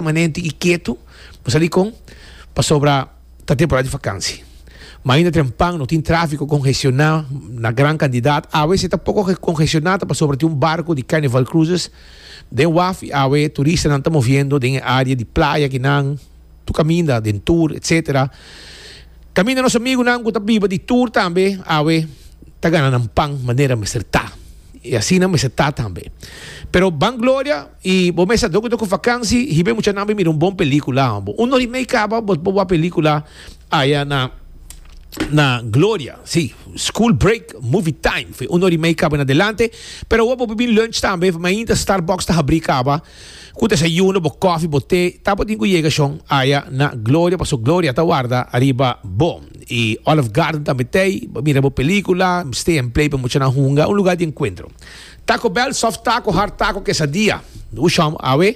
Permanente y ketu, bo sa dikon? Pasobra ta temporada di vakansi. Ma ainda tren pan no tin tráfiko kongestioná na gran kantidad. Awe esei ta poko kongestioná ta pasobra tin un barko di Carnival Cruises den waf y awe turistanan ta moviendo den e área di playa kinan tur kaminda den tur etcétera. Kaminda nos amigunan ku ta biba di tur tambe awe ta gana nan pan manera mester ta y asina mester ta tambe. Pero Ban Gloria. I bo mester do cu vakansi hibe muchanan bay mira un bon pelicula. Un hora y mei caba bo wak pelicula aya na na Gloria. Si, school break movie time. Fe un hora y mei caba en adelante. Pero awo bo bin lunch tambe fe mainta Starbucks ta habri caba cu desayuno, bo coffee, bo te. Tabatin cu yega shon aya na Gloria paso Gloria ta warda ariba bo. I Olive Garden tambe t'ey. Bo mira bo pelicula, stay and play pa muchanan hunga. Un lugar di encuentro. Taco Bell soft taco hard taco quesadia Hu shom awe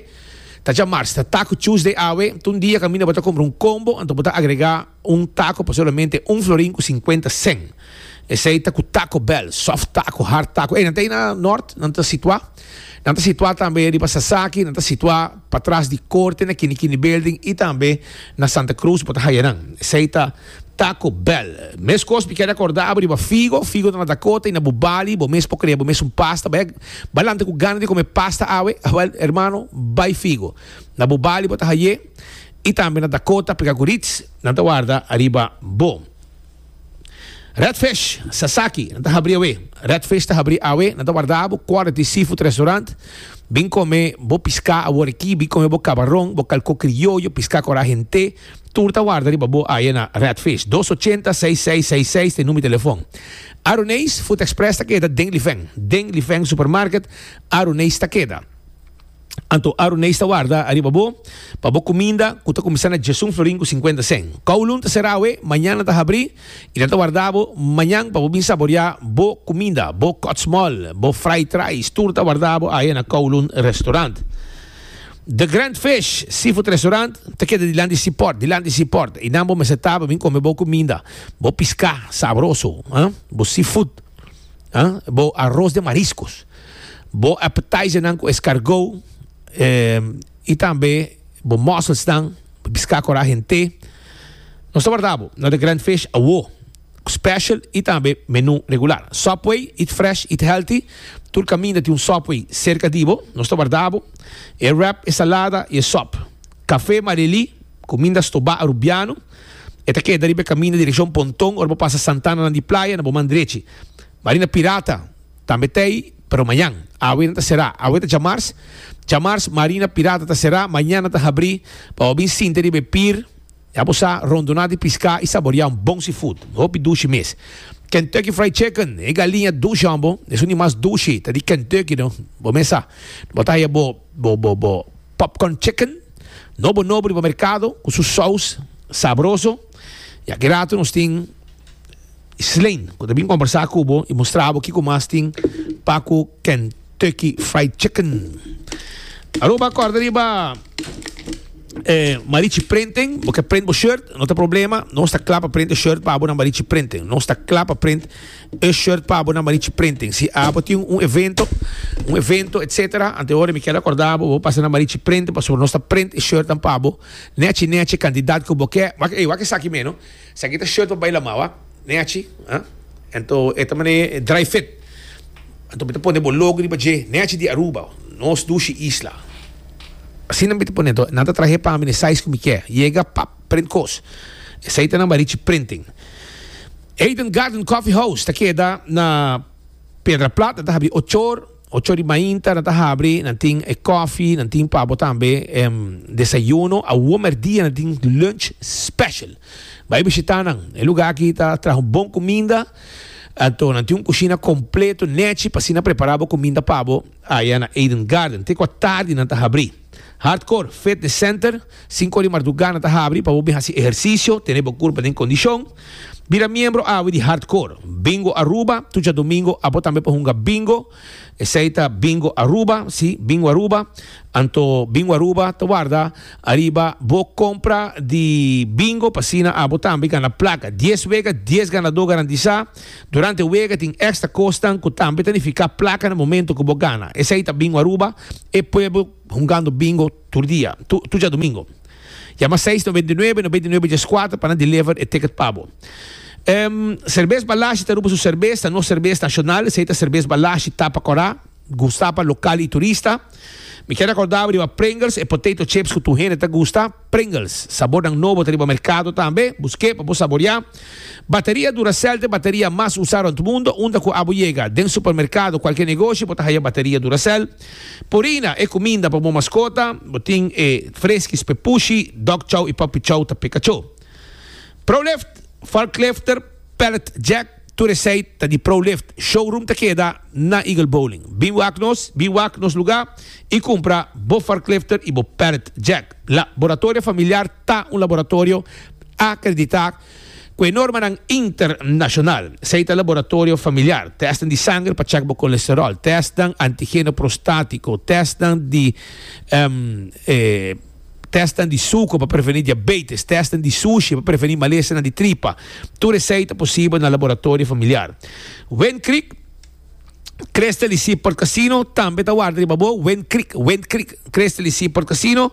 ta dja mars ta taco Tuesday awe ta un dia caminda bo ta compra un combo anto bo ta agrega un taco pa solamente un florin cu cincuenta cen esey ta cu Taco Bell soft taco hard taco ey nan ta ey na Nort nan ta situa nan ta situa tambe riba Sasaki nan ta situa patras di corte na Kini Kini Building y tambe na Santa Cruz bo ta haya nan esey ta. Taco Bell. Meskos mi keda korda abo riba figo, figo ta na Dakota i na bo bali, bo mes por krea bo mes un pasta, bai bai lanta ku gana di kome pasta awe, awel hermano bai figo na bo bali bo ta haye i tambe na Dakota peka ku Ritz nan ta warda ariba bo. Redfish Sasaki nan ta habri awe, Redfish ta habri awe, nan ta warda abo Quality Seafood Restaurant, bin kome bo piska awor aki, bin kome bo kabaron, bo kalko krioyo, piska kora hente. Tur ta warda riba bo aye na Redfish. Dos ochenta seis seis seis seis ta e numi telefon. Aruneis Food Express ta keda den Lifen. Den Lifen Supermarket Aruneis ta keda. Anto Aruneis ta warda riba bo pa bo kuminda ku ta kuminsá na Djesun Florin ku sinkuenta sen. Kowloon ta será awe, mañan nan ta habrí i nan ta warda bo mañan pa bo bin saboriá bo kuminda, bo kòtsmòl, bo fried rice. Tur ta warda bo aye na Kowloon Restaurant. The Grand Fish Seafood Restaurant ta keda dilant di Seaport, dilant di Seaport. Einan bo mester ta, bo bin come bo cuminda, bo pisca sabroso, ah, bo seafood, ah, bo arroz den mariscos, bo appetizer nan cu escargot, eh, y tambe bo mussels nan, pisca cora hente. Nos ta warda bo na The Grand Fish awo. Special y tambe menu regular. Subway, eat fresh, eat healthy. Tur caminda tin un Subway cerca di bo. Nos ta warda bo e wrap, e salada y e sop. Cafe Marily, cuminda stoba Arubiano. E ta keda riba e caminda direccion Ponton ora bo pasa Santanaland di Playa na bo man drechi. Marina Pirata tambe ta ey, pero mañan. Awe nan ta cera. Awe ta djamars. Djamars Marina Pirata ta cera, mañana ta habri pa bo bin sinti riba e pier. Ya bo sa, rondoná di piská i saboriá un bon seafood, hopi dushi mes. Kentucky Fried Chicken, e galiña dushi hombo, es un di mas dushi, ta di Kentucky no, bo mes sa. Bo ta haya bo bo popcorn chicken, nobo nobo riba merkado, ku su sous sabroso. Ya ki ratu nos tin. Sleen, cu ta bin combersa cu bo y mustra bo kico mas tin pa cu Kentucky Fried Chicken. Aruba corda riba eh, Marichi Printing, bo ke print bo shirt, no ta problema, nos ta kla pa print e shirt pa bo na Marichi Printing. Nos ta kla pa print e shirt pa bo na Marichi Printing. Si abo tin un evento, un evento, etcetera, antehoren mi ker acorda bo, bo pasa na Marichi Printing, pasobra nos ta print e shirtnan pa bo, nechi nechi cantidad cu bo ke. Wak, ey, wak esaki meno. Esaki ta shirt pa baila mao a? Ne achi? Ha? Ento e ta mane dry fit. Anto mi ta pone bo logo riba dje. Ne achi di Aruba. Nos dushi isla. Asina mi ta pone anto nan ta trahe pa mi ne size ku mi ke. Yega pap print kos. Esei ta nan Barichi Printing. Eden Garden Coffee House ta keda na Piedra Plata ta habri ocho or. Ocho di mainta nan ta habri, nan tin e koffie, nan tin pa bo tambe e desayuno. Awor merdia nan tin lunch special. Bai bishita nan. E luga aki ta traha un bon kuminda, anto nan tin un kushina kompleto nechi pa asina prepara bo kuminda pa bo aya na Eden Garden. Te kua tardi nan ta habri. Hardcore Fitness Center, sinku ora di marduga nan ta habri pa bo bin hasi ehersisio, tene bo kurpa den kondishon. Bira miembro awe di Hardcore Bingo Aruba, tur djadumingo abo tambe por hunga bingo, esei ta Bingo Aruba, si, Bingo Aruba, anto Bingo Aruba ta warda ariba bo kompra di bingo pa asina abo tambe gana plaka, dies wega, dies ganadó garantisa. Durante wega tin extra cosnan cu tambe ta nifica placa na momento cu bo gana. Esey ta Bingo Aruba, e pueblo hungando Bingo tur dia, tur djadomingo. Yama seis noventa i nuebe noventa i nuebe dies cuater pa nan deliver e ticket pa bo. Cervez Balashi ta Aruba su cervez, ta nos cervez nacional, esey ta Cervez Balashi tapa cora. Gusta pa lokal y turista. Mi kier recordaba riba Pringles, e potato chips cu tur hende ta gusta. Pringles, sabornan nobo ta riba mercado tambe. Busque pa bo saboria. Bateria Duracell ta e bateria mas usa rond mundo. Unda cu abo yega, den supermercado, cualkier negoshi, bo ta haya bateria Duracell. Purina, e cuminda pa bo mascota. Bo tin e Friskies Pepushi, Dog Chow y Puppy Chow ta peka cho. Prolift, Varklifter. Pallet Jack, tur esei ta di Pro Lift. Showroom ta keda na Eagle Bowling. Bin wak nos, bin wak nos lugá i kumpra bo forklifter i bo pallet jack. La Boratorio Familiar ta un laboratorio akreditá ku e normanan internashonal. Esei ta laboratorio familiar, tèstnan di sanger pa chèk bo kolesteròl, tèstnan antigeno prostátiko, tèstnan di e. Tesnan di suker pa prevení diabetes. Tesnan di sushi pa prevení malesanan di tripa. Tur esei ta posibel na laboratorio familiar. Wind Creek Crystal di Seaport Casino tambe ta warda riba bo. Wind Creek, Wind Creek Crystal di Seaport Casino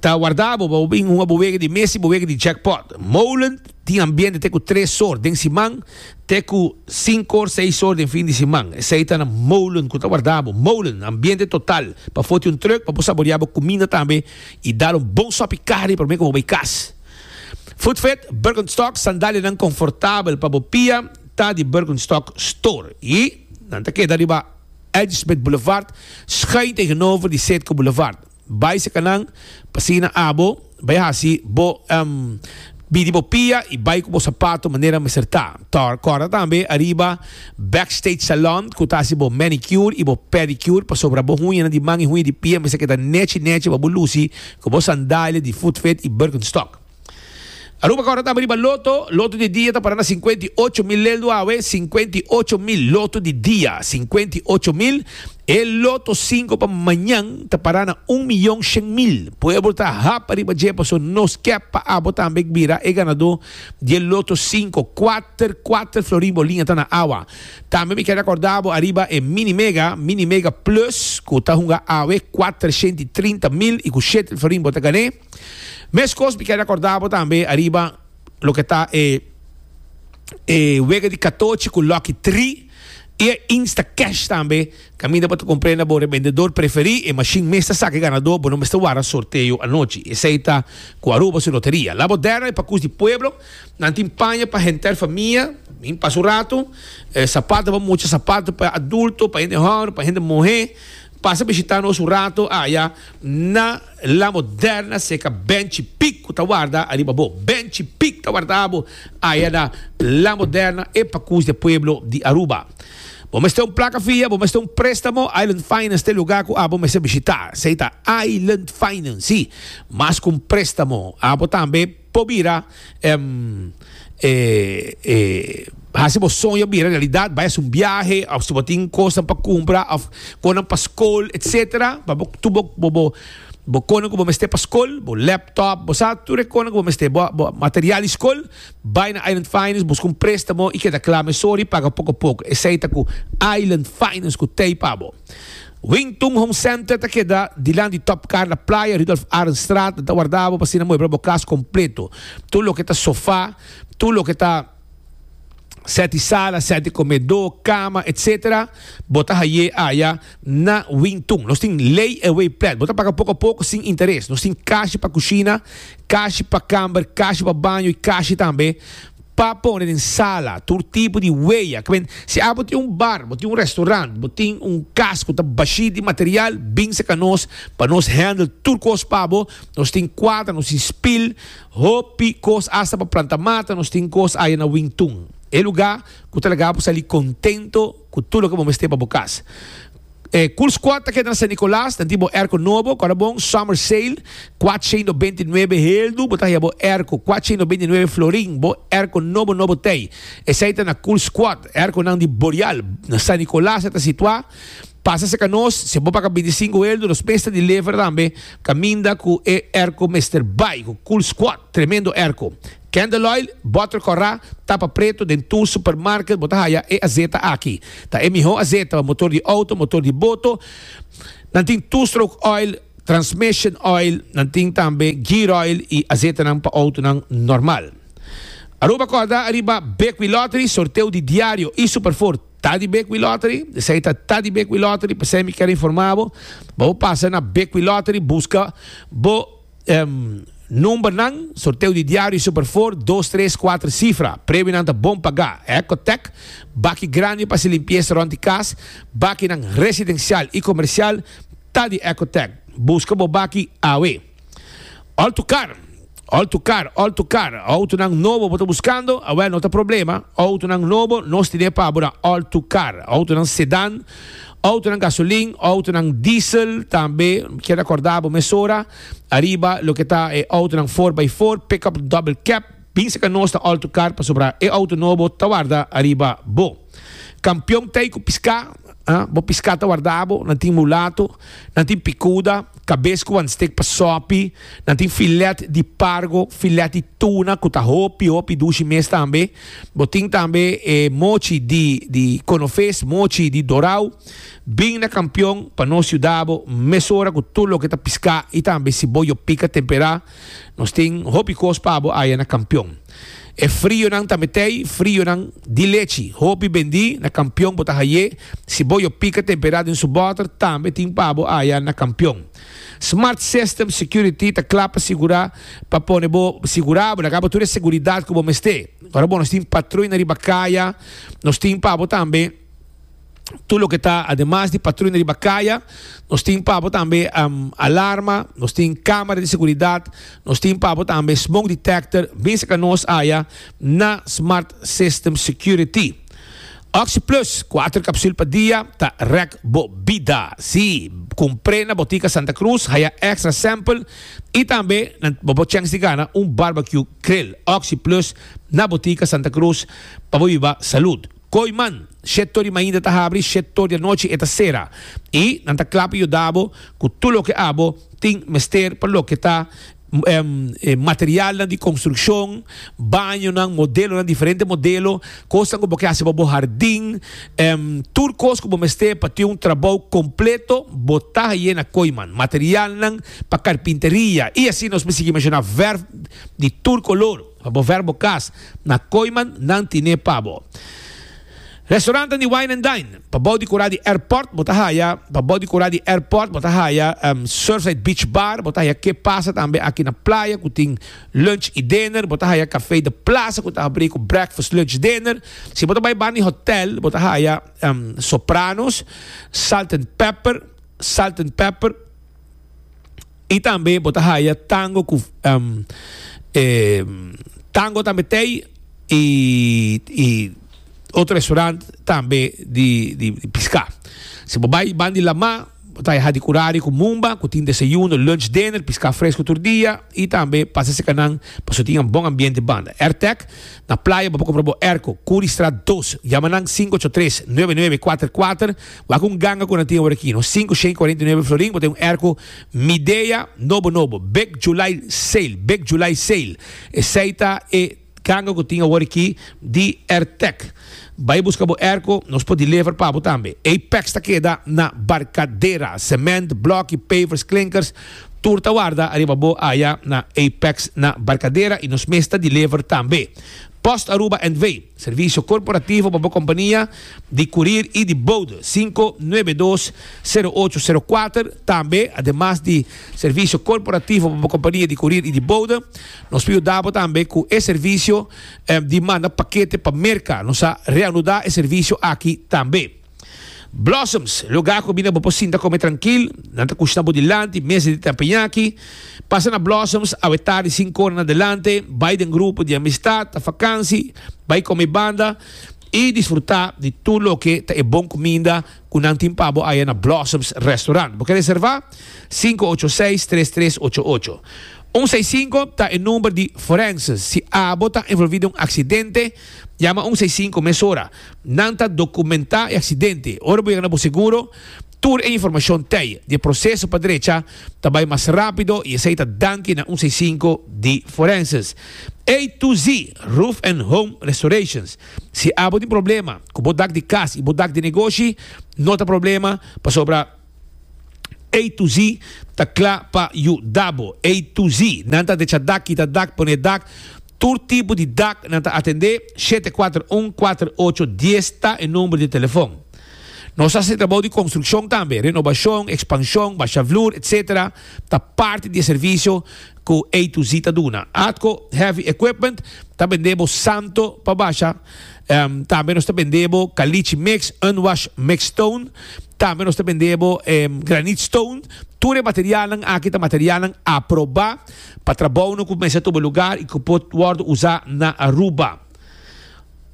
ta warda bo pa bo bin hunga bo wega di mes i bo wega di jackpot. Molen tin ambiente te ku tres sort den siman. te ku sinku or seis or den fin di siman. Esei ta na molen ku ta warda bo, molen, ambiente total, pa foti un trùk pa bo saboreá bo kuminda tambe i dal un bon sòpi karni promé ku bo bai kas. Footfit Birkenstock, sandalianan konfortabel pa bo pia, ta di Birkenstock Store i nan ta keda riba Edgesmit Boulevard, skei tegenover di Setco Boulevard. Bai seka nan, pa signa abo, bai hasi bo em, bidi bo pia y bai cu bo sapato manera mester ta. Tor, corda tambe ariba Backstage Salon cu ta hasi bo manicure y bo pedicure pasobra bo huñanan di man y huña di pia mester keda nechi nechi pa bo luci cu bo sandalia di Footfit y Birkenstock. Aruba kòrda tambe riba loto. Loto di dia ta para na sinkuenta i ocho mil leldu awe, sinkuenta i ocho mil loto di dia, sinkuenta i ocho mil. E loto sinku pa mañan ta para na un miyon shen mil. Pueblo ta hap riba dje paso nos kep pa abo tambe bira e ganadó di e loto sinku. Kuater kuater florin bolin a ta na awa. Tambe mi kere kòrda bo ariba e Mini Mega, Mini Mega Plus, ku ta hunga awe kuatreshenta i trinta mil i ku shetel florin bo ta gan'é. Meskos mi ke rekorda bo tambe ariba loke ta e e wega di katochi ku Lucky Tri i e Instacash tambe. Kaminda bo ta komprende bo rebendedor preferí, e mashin mes ta saka e ganadó, bo no mester wara sorteo anochi. Esei ta ku Aruba su loteria. La bo dèna e pakus di pueblo. Nan tin paña pa henter famia, min pasa un ratu, sapatu pa mucha, sapatu pa adulto, pa hende hòmber, pa hende muhé. Pasa bishitá nos un ratu aya na. La moderna seca benchi pic cu ta warda ariba bo benchi pic ta warda bo ayada la moderna e pacus de pueblo di Aruba bo mester un placa fia bo mester un prestamo island finance te lugar cu abo mester bishita sey ta island finance si mas cu un prestamo abo tambe Por bira e haci bo soño bira realidad, bay haci un biahe of si bo tin cosnan pa cumpra of connan pa scol etc. Pa bo tur bo connan cu bo mester pa scol, bo laptop, bo sa tur e connan cu bo mester, bo material di scol, bay na Island Finance busca un prestamo y keda cla mesora y paga poco poco. Esey ta cu Island Finance cu tey pa bo. Wington Home Center ta keda dilant di Top Carla Playa, Rudolf Arendstraat. Nan ta warda bo pa asina muebla bo cas completo. Tur loke ta sofa, tur loke ta set di sala, set di comedo, cama, etc. Bo ta haye aya na Wington. Nos tin layaway plan. Bo ta paga poco a poco sin interes. Nos tin cashi pa cushina, cashi pa camber, cashi pa baño y cashi tambe. pa pone den sala tur tipo di weya ke men si abo tin un bar bo tin un restaurant bo tin un cas cu ta bashi di material binse ca nos pa nos handle tur cos pa bo nos tin cuadra nos tin spil hopi cos hasta pa planta mata nos tin cos aya na wintun e lugar cu ta laga bo sali contento cu tur loke bo mester pa bo cas. E Cool Squad ta keda na San Nicolas, nan tin bo airco nobo, kora bon, Summer Sale, kuatshientos binte nuebe heldu, bo ta haya bo airco, kuatshientos binte nuebe florin, bo airco nobo nobo t'ey. Esey ta na Cool Squad, airconan di Boreal, na San Nicolas e ta situa, pasa cerca nos, si bo paga binte y sinku heldu, nos mes ta deliver tambe, caminda cu e airco mester bay, cu Cool Squad, tremendo airco. Candle oil, butter corra, tapa preto den tur supermarket bo ta haya e azeta aki. Ta e miho azeta pa motor di auto, motor di boto. Nan tin two stroke oil, transmission oil, nan tin tambe gear oil y azetanan pa autonan normal. Aruba corda ariba Bekwee Lottery, sorteo di diario y super four ta di Bekwee Lottery. Esai ta ta di Bekwee Lottery, p'esei mi ker informa bo pa bo pasa na Bekwee Lottery buska bo. Numbernan, sorteo di diario super for, dos tres kuater sifra, premionan ta bon pagá, Ecotec, baki grandi pa hasi limpiesa rònt di kas, bakinan residensial i komersial ta di Ecotec, buska bo baki awe. Altukar, Altukar, Altukar, outonan nobo bo ta buskando? Awèl no ta problema, outonan nobo nos tine pa bo na Altukar, outonan sedan, Outonan gasolin, outonan diesel tambe. Kier acorda bo mesora ariba loke ta e outonan 4x4 pickup double cab. Bin seca nos ta all tu car pasobra e outo nobo ta warda ariba bo. Campeon ta ei cu pisca, bo pisca ta warda bo. Nan tin mulato, nan tin picuda, cabes cu wan steak pa sopi, nan tin filet di pargo, filet di tuna cu ta hopi hopi dushi mes tambe. Bo tin tambe e mochi di di Konofes, mochi di Dorau. Bin na Kampion pa nos yuda bo mesora ku tur loke ta piská i tambe si bo yo pika temperá. Nos tin hopi kos pa bo aya na Kampion. E frionan tambe t'ei frionan di lechi. Hopi bendí na Kampion bo ta hai'é. Si bo yo pika temperá den su bòter tambe tin pa bo aya na Kampion. Smart System Security ta kla pa sigurá pa pone bo sigurá bo ta kaba tur e seguridat ku bo mester. Ora bo nos tin patruna riba kaya, nos tin pa bo tambe tur loke ta ademas di patruna riba kaya, nos tin pa bo tambe alarma, nos tin kamera di seguridat, nos tin pa bo tambe smoke detector. Binse ka nos aya na Smart System Security. Oxi Plus, kuater kapsul pa dia, ta rèk bo bida! Sí, kumpr'é na Botica Santa Cruz, haya extra sample i tambe nan bo por chèns di gana un barbecue grill. Oxi Plus na Botica Santa Cruz pa bo biba salud. Kooi man, shét tor di mainta ta habri, shét tor di anochi e ta sera. I nan ta kla pa yuda bo ku tur loke abo tin mester pa loke ta materialnan di konstrukshon, bañonan, modelonan, diferente modelo, kosnan ku bo ke hasi pa bo hardin, tur kos ku bo mester pa tin un trabou kompleto, bo ta haié na Koiman. Materialnan pa karpinteria i asina nos por sigui menshoná vèrf di tur kolor pa bo vèrf bo kas, na Koiman nan tine pa bo. Restoranten di wine and dine pa bou di kura di airport bo ta haya pa bou di kura di airport bo ta haya Surfside Beach Bar bo ta haya Ke Pasa tambe aki na playa ku tin lunch i dinner bo ta haya Café de Plaza ku ta abrí ku breakfast lunch dinner si bo ta bai banda di hotel bo ta haya Sopranos Salt and Pepper Salt and Pepper Y tambe bo ta haya tango cu tango tambe tey y otro restaurant tambe di pisca. Si bo bay banda di Lamá bo ta haya Hadi Curari cu Mumba cu tin desayuno, lunch, dinner, pisca fresco tur dia y tambe pasa seca nan pasobra tin un bon ambiente banda. Airtek na playa bo por compra bo airco Curistraat dos yama nan sinku ocho tres nove nove kuater kuater. Wak un ganga ku nan tin awor aki, no. Sinku shei kuarenta i nuebe florin, bo ta un erko Midea nobo nobo, Big July Sale, Big July Sale. Esei ta e ganga ku tin awor aki di Ertec. Bai buska bo erko, nos por deliver pa bo tambe. Apex ta keda na Barcadera, semènt, blòki, pavers, klinkers, tur ta warda ariba bo aya na Apex na Barcadera i nos mes ta deliver tambe. Post Aruba NV, servisio korporativo pa bo kompania, di kurir i di boude, sinku nuebe dos, sero ocho, sero kuater. Tambe, ademas di servisio korporativo pa bo kompania di kurir i di boude, nos por yuda bo tambe ku e servisio di manda pakete pa Merka. Nos a reanuda e servisio aki tambe. Blossoms, lugá ku bida bo por sinta kome trankil, nan ta kushna bo dilanti mesa di tempeñaki. Pasa na Blossoms awe tardi sinku ora na adelante, bai den grupo di amistat, ta fakansi, bai kome banda. I disfrutá di tur loke ta e bon kuminda ku nan tin pa bo aya na Blossoms Restaurant. Bo ke reservá? Sinku ocho seis, tres tres ocho ocho. Un seis sinku ta e number di Forenses. Si abo ta envolví den un aksidente, yama un seis sinku mesora. Nan ta dokumentá e aksidente. Ora bo yega na bo seguro. Tur e informashon tei di e proseso pa drecha ta bai mas rapido i esei ta danki na un seisinku di forenses A to Z Roof and Home Restorations. Si abo tin problema ku bo dak di kas i bo dak di negoshi, no ta problema pasobra A to Z ta kla pa yuda bo. A to Z nan ta drecha dak, kita dak, pone dak, tur tipo di dak nan ta atende. Shete kuater un kuater ocho dies ta e number di telefon. Nos hasi trabou di konstrukshon tambe. Renobashon, ekspanshon, basha vloer, etc. Ta parti di e servisio ku A-Z ta duna. Atco Heavy Equipment ta bend'é bo santo pa basha. Tambe nos ta bend'é bo kalichi mix, unwashed mix stone. Tambe nos ta bend'é bo granite stone. Tur e materialnan aki ta materialnan aprobá pa trabounan ku kumensá tuba lugar i ku por wòrdu usá na Aruba.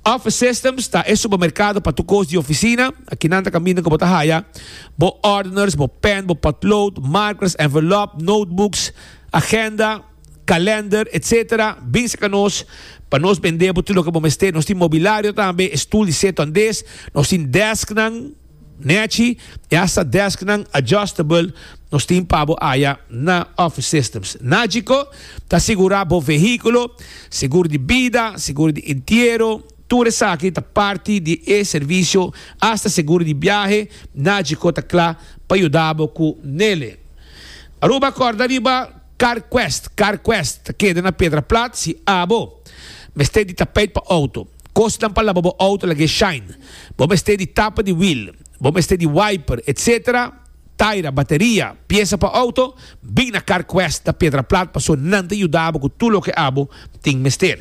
Office Systems ta e supermerkado pa tur kos di ofisina. Aki nan ta kaminda ku bo ta haya bo ordeners, bo pen, bo potlood, markers, envelop, notebooks, agenda, kalender, etsetera. Bin serka nos pa nos bende bo tur loke bo mester. Nos tin mobilario tambe, e stul di setu andes. Nos tin desknan. Nechi e hasta desknan adjustable nos tin pa bo aya na Office Systems. Nagico ta sigura bo vehiculo, seguro di bida, seguro di entiero, tur esaki ta parti di e servicio, hasta seguro di biahe Nagico ta cla pa yuda bo cu nele. Aruba corda riba CarQuest, CarQuest ta keda na Pedra Plat si abo mester di tapijt pa auto. Kosnan pa laba bo auto lagu'e shine. Bo mester di tapa di wiel. Bo mester di wiper, etc. Taira, bateria, piesa pa auto, bin na CarQuest na Piedra Plat paso nan ta yudabo ku tur loke abo tin mester.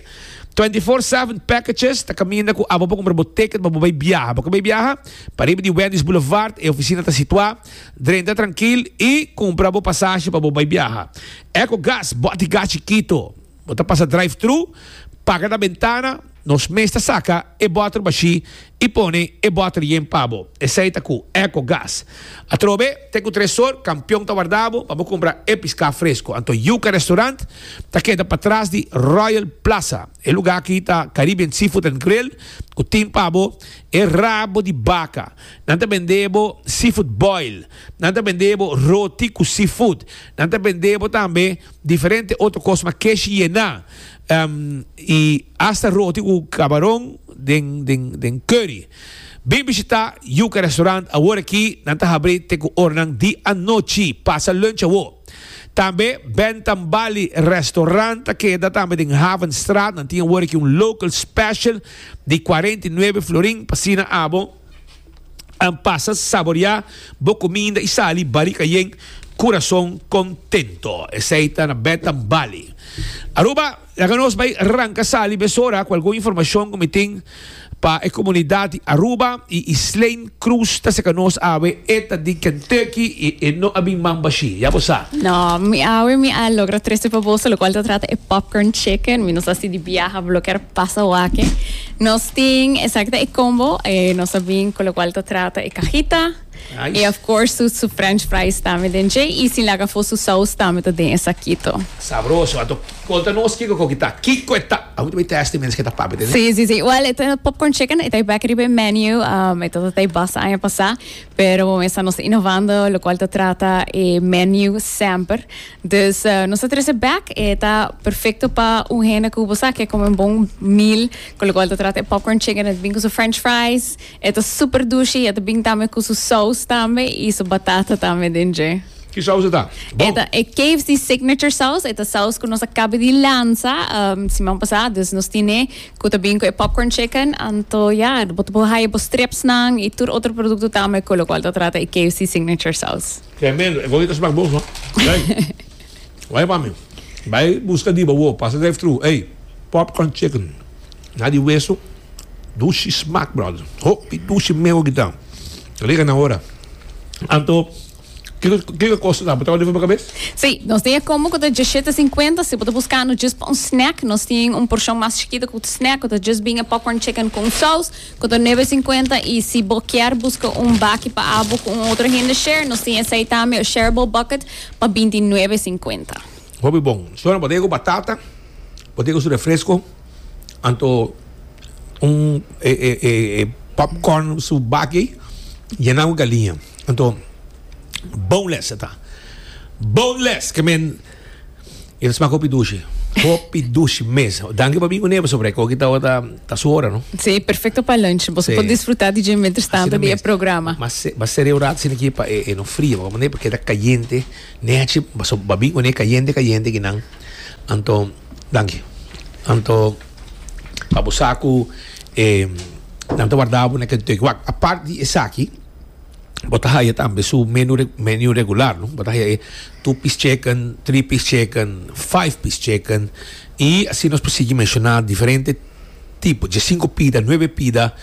Twenty Four Seven Packages ta kaminda ku abo por kumpra bo ticket pa bo bai biaha. Bo ke bai biaha? Pariba di Wendy's Boulevard e ofisina ta situá. Drenta trankil i kumpra bo pasashi pa bo bai biaha. Ecogas, bòt di gas chikitu. Bo ta pasa drive-thru, paga na bentana, nos mes ta saca e bòter bashí i pone e bòter yen pa bo. Esei ta cu Eco Gas. Atrobe, t'e cu tresor, campion ta warda bo pa bo cumpra e piscá fresco. Anto Yuca Restaurant ta keda patras di Royal Plaza. E lugá aki ta Caribbean Seafood and Grill cu tin pa bo e rabo di baca. Nan ta bende bo seafood boil. Nan ta bende bo roti cu seafood. Nan ta bende bo tambe. Diferente otro cos mas kesh yena y hasta roti cu cabaron den curry. Bin bishita Yuca Restaurant awor aki nan ta habri te cu oranan di anochi pasa lunch awo. Tambe Bentham Bali Restaurant ta keda tambe den Havenstraat nan tin awor aki un local special di cuarenta y nuebe florin pa cena abo. An pasa saboria bo cominda y sali bali cayen curason contento. Esey ta na Betam Bali. Aruba, laga nos bay ranca sali mesora cu algun informacion cu mi tin pa e comunidad di Aruba y Islijn. Cruz ta seca nos awe. E ta di Kentucky y e no a bin man bashi. Ya bo sa. No, mi awe mi a logra trece pa boso, locual ta trata e popcorn chicken. Mi no sa si di biaha bo lo ker pasa wak e. Nos tin exacto e combo. Eh, nos a bin cu locual ta trata e cajita. Nice. Y of course su, su french fries tambe den dje. Y sin laga afo su saus tambe ta den e sakito. Sabroso. Anto conta nos kico cu ta, kico e ta. Awe ta bay testi mens ke ta papia den e. Sí, sí, sí. Well, e ta popcorn chicken. E ta back riba e menu. Um, e ta ta tai bas aña pasa. Pero bo mester nos inovando locual ta trata e menu semper. Dus nos ta trece bek e ta perfecto pa un hende cu bo sa que come un bon meal, con lo cual ta trata e popcorn chicken, e ta bin cu su french fries, e ta super douchy, e ta bin tambe cu su saus tambe y su batata tambe den dje. Ki saus e ta? Bon. E ta e KFC signature saus, e ta saus cu nos a cabe di lanza um, siman pasá, dus nos tine cu ta bin cu e popcorn chicken, anto ya, bo ta por haya bo stripsnan y tur otro producto tambe, con lo cual ta trata e KFC signature saus. Tremendo, e gomita smak bon hoor. Hey, wai pa mi. Bai buska di bawo, pasa drive through. Hey, popcorn chicken. Na di weso. Dushi smak brother. Hopi dushi meo kita. Riga na hora. Anto, kiko kosa ta botado riba bo kabes? Sí, nos tin e combo ku ta diecisiete cincuenta. Si bo ta buskando djis pa un snack, nos tin un porshon mas chikito ku snack ku ta djis bin e popcorn chicken ku un saus. Koto nebe sinkuenta i si bo kier buska un baki pa abo ku un otro hende share, nos tin esei tambe, e shareable bucket, pa binti nuebe sinkuenta. Hopi bon. Shona bo ta yega ku batata, bo ta yega ku su refresko, anto un e e e e popcorn su baki ei yenan ku galiña. Anto boneless ta ta. Boneless ke men. E ta smak hopi dushi. Hopi dushi mes. Danki pa bin ku nepa Sobrek. Oki tabata ta su ora, no? Sí, perfecto pa lunch. Boso por disfruta di dje mientras tanto di e programa. Asina mes. Mas sere un rato asina aki pa e no fria. Pasobra nepa keda cayente. Nechi boso a bin ku ne cayente cayente aki nan. Anto, danki. Anto, pa bo sa ku e nan ta warda bo na kentueki. Wak, apart di esaki. bo ta haya tambe su menu menu regular no bo ta haya e two piece chicken three piece chicken five piece chicken y así nos por sigui menciona diferente tipo dje cinco pida nueve pida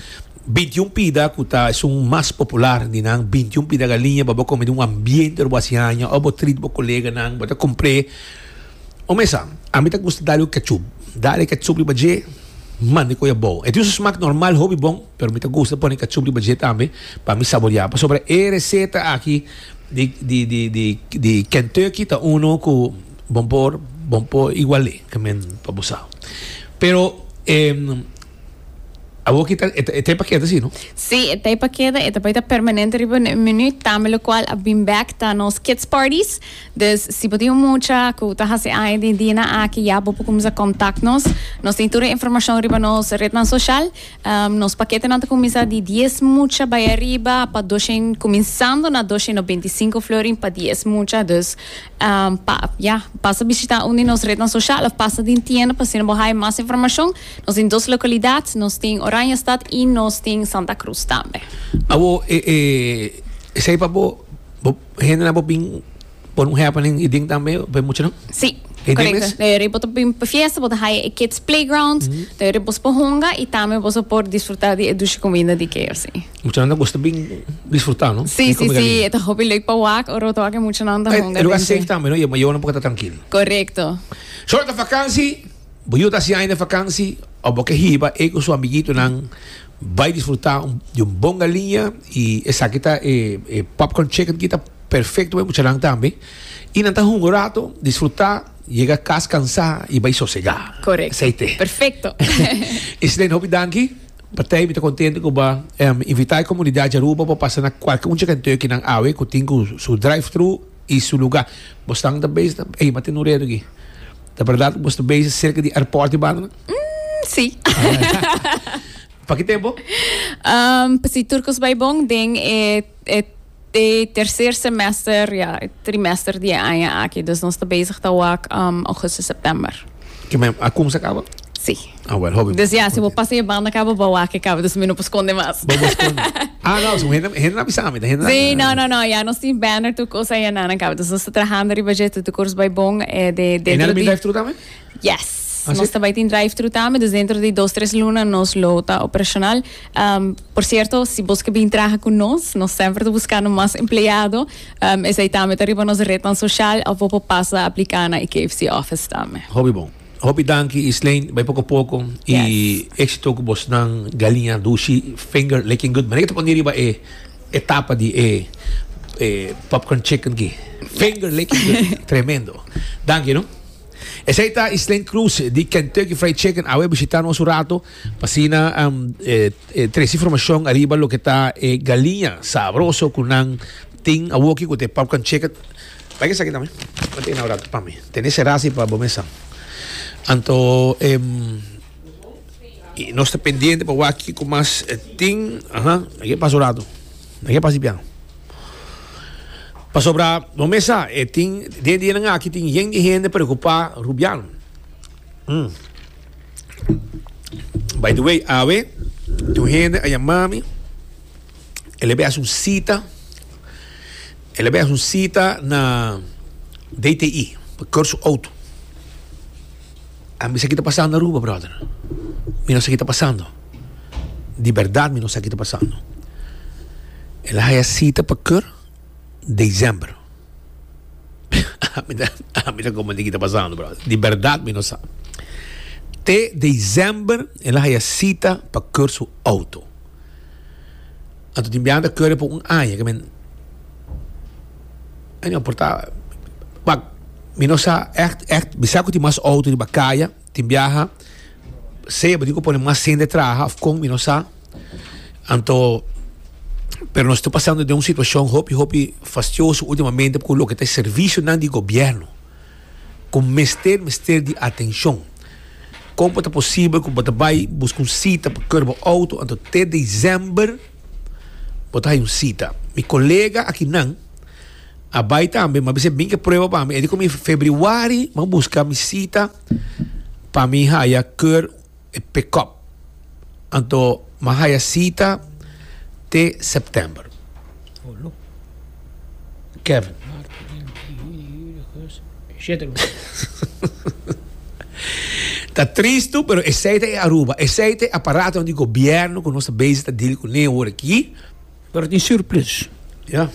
veintiun pida cu ta esun mas popular di nan veintiun pida galiña pa bo come den un ambiente bo hasi aña o bo treat bo coleganan bo ta compre Omo esa, ami ta gusta dal un ketchup. Dal e ketchup riba dje, manda e koya bow. E tin su smak normal hopi bon, pero mi ta gusta pone ketchup riba dje tambe pa mi saborea. Pasobra e reseta aki di di di di di Kentucky ta uno ku bon por bon por igual'é, ke men pa bo sa. Pero, e. Awor ki ta, e, e ta pa keda si, no? Si, e ta pa keda, e ta bai ta permanente riba e menu, tambe lo cual a bin back ta nos kids parties. Dus, si bo tin un mucha cu ta haci aña den dia na aki ya, bo por cuminsa contact nos. Nos tin tur e informacion riba nos rednan social. Um, nos paketenan ta cuminsa di dies mucha bai ariba pa doshen, cuminsando na doshen no beinticinco florin pa dies mucha. Dus, Pa ya, pasa bishita un di nos rednan soshial of pasa den tienda pa asina bo haya mas informashon. Nos tin dos lokalidat, nos tin Oranjestad i nos tin Santa Krus tambe. Awo, e, e, esei pa bo, bo, hendenan bo bin pon un happening i den tambe, bo e muchanan? Si, E den korekto. mes? Dor yoris bo ta bin pa fiesta, bo ta haya e kids playground, dor yoris bo so por honga i tambe bo so por disfruta di e dushi kuminda di keyorsi. Mucha nan gusta bin disfrutar, no? Sí, sí, sí. Eta hopi leuk pa wak, oro to ake mucha nan ta honga. El lugar safe tambe, no? Yo no porque ta tranquilo. Correcto. Short de vakantie, boyo ta si año de vakantie, o boke hiba e con su amiguito nan vai disfrutar de un bon galinha y esa kita e, e popcorn chicken kita perfecto pa mucha nan tambe. Y nan ta honga un rato, disfrutar, llega cas cansado y vai sosega. Correcto. Perfecto. Islene, hopi danki. Patei mi ta contento cu bo em invita e comunidad di Aruba pa pasa na cualke un Chikenteuki nan awe cu tin cu su drive-thru y su lugar. Bo stan ta base na ey ma tin un reto aki. Ta berdad cu bo sta base cerca di airport di Banta na? Umm, si. Pa ki tempo? Umm, pa si tur cos bay bon den e, e. T'e tercer semester, ya, e trimester di e aña aki. Dus nos ta bezig ta wak um, augustus, september. Ke me a kumsa kaba? Si. Ah, wel, hopi. Dus ya, si bo pasa e banda kaba, bo wak e kaba, dus mi no por skonde mas. Bo por skonde. ah, no, so hende, hende na bisa mi, ta hende na. Si, no, no, no, ya nos tin banner tur kosa ya nan an kaba. Dus nos ta trahando riba dje, tudu kos bai bon, e de dentro di. E na de middag tur tambe? Yes. Nos ta bai tin drive-thru tambe, dus dentro di dos tres luna nos lo ta operacional. Um, por cierto, si bos ke bin traha ku nos, nos semper ta buskando mas empleado. Um, esei tambe ta riba nos rednan sosial of bo por pasa apliká na e KFC office tambe. Hopi bon. Hopi danki Isleen, bai poko poko i Yes. éxito ku bosnan galinha dushi finger licking good. Mira ke ta pone riba e e tapa di e e popcorn chicken ki. Finger licking good. Tremendo. Danki no. Esei ta Islén Cruz di Kentucky Fried Chicken awe bishita nos un rato pa sina um, e, e, tresi formacion ariba lo ke ta e galiña sabroso ku nan tin awoki ku te popcorn chicken. Like esaki tambe. Mete na un rato pa mi. Tene serasi pa bo mesa. Anto em i nos ta pendiente pa wak kiko mas tin. Aha, ake pasa un rato. Nan ke pasa di bian. Pasobra bo mes sa, e tin, den e dianan aki tin yen di hende preokupá rubiano. Hm. By the way, awe tin un hende a yamá mi, el a bai haci un cita, el a bai haci un cita na DTI pa keur su auto. A mi sa ki ta pasando Aruba, brother. Mi no sa ki ta pasando. Di berdad mi no sa ki ta pasando. El a haya sita pa keur december. a mi ta, a mi ta comprende ki ta pasando, brother. Di berdad mi no sa. Te december el a haya sita pa keur su auto. Anto tin biaha ta curry por un aña ke mi anjo por ta wak mi no sa echt echt mi sa ku tin mas auto riba kaya tin biaha sea bo tin ko pone mas hende traha of kon mi no sa anto pero nos ta pasando den un situacion hopi hopi fastioso ultimamente ku loke ta e servicio nan di gobierno. ku mester mester di atenshon. Kon bo ta posibel ku bo ta bai buska un sita pa kor bo outo anto te desèmber bo ta haña un sita? Mi kolega akinan a bai tambe, mi a bisa e mingke prueba pa mi. E di ku mi, Febrüari mi a buska mi sita pa mi haña kor. E pickup. Anto m'a haya cita te september. Kevin. Ta tristu pero esey ta e Aruba, esey ta e aparato di gobierno cu nos ta bezi ta deal cune awor aki. Pero tin surplus. Ya.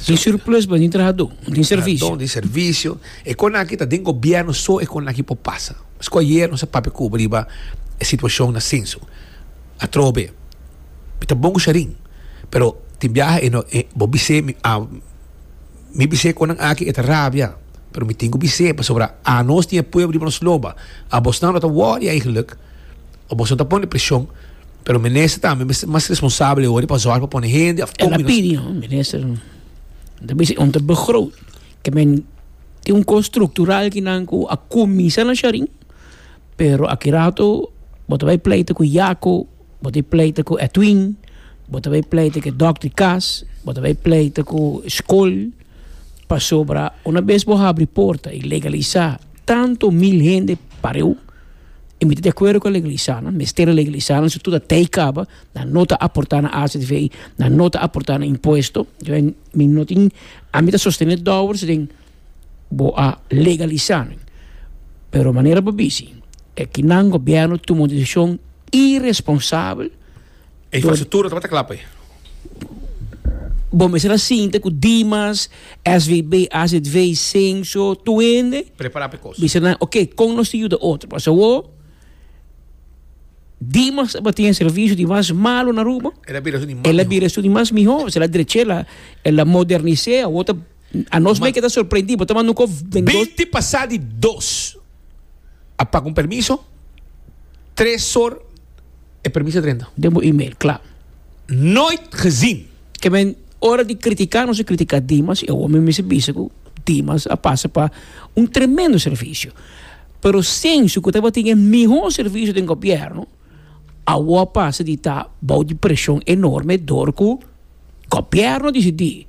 Tin surplus pa tin trahadó, no tin servisio. Don di servisio. E kon aki ta den gobierno so e kon aki por pasa. Pasko ayer nos a papia Cuba riba e situashon na senso atrobe mi ta bon ku Shairin pero tin biaha e no e bo bis'é mi a mi bis'é kon nan aki e ta rabia pero mi tin ku bis'é pasobra anos tin e pueblo riba nos loba abosnan lo ta wòrdu aigenluk o boso ta pone preshon. Pero minister tambe mester mas responsabel worde pa zorg pa pone hende of En opinion, minister, ta bisa un ta begroot. Ke men tin un kos structural kinan ku a kuminsa na Shari, pero aki rato bo ta bai pleita ku Yako, bo ta bai pleita ku Etwin, bo ta bai pleita ku Dok di Kas, bo ta bai pleita ku skol, pasobra una bes bo habri porta i legalisa tanto mil hende pareu E mi ta di akuerdo ku e legalisanan, mester e legalisanan su tur a tei kaba, nan no ta aportá na azv, nan no ta aportá na impuesto, mi no tin, a mi ta sostené dòber su den bo a legalisá nan, pero manera bo a bis'i, e kinan gobierno tuma un desishon iresponsabel. E infrastruktura tabata kla pa e. Bo mester a sinta ku Dimas, SVB, AZV, Cenco, tur hende. Prepará pa e kos. Bisa nan, oke, kon nos tin yuda otro? Pasobra awor Dimas tabatin e servisio di mas malu na Aruba. El a bira esun di mas mihó. El a bira esun di mas mihó. Sela drechela, el a modernis'é. Awor ta. A nos mei ke ta sorprendí, bo ta manda un kos den dos. Binti pasá di dos a paga un permiso, tres or e permiso a drenta. Den bo email, kla. Nooit gezien. Ke men ora di kritiká nos a kritiká Dimas, i awor mi mester bisa ku Dimas a pasa pa un tremendo servisio. Pero sensu ku tabatin e mihó servisio den gobièrnu. Awor pasa di ta bou di presion enorme dor cu gobierno dicidi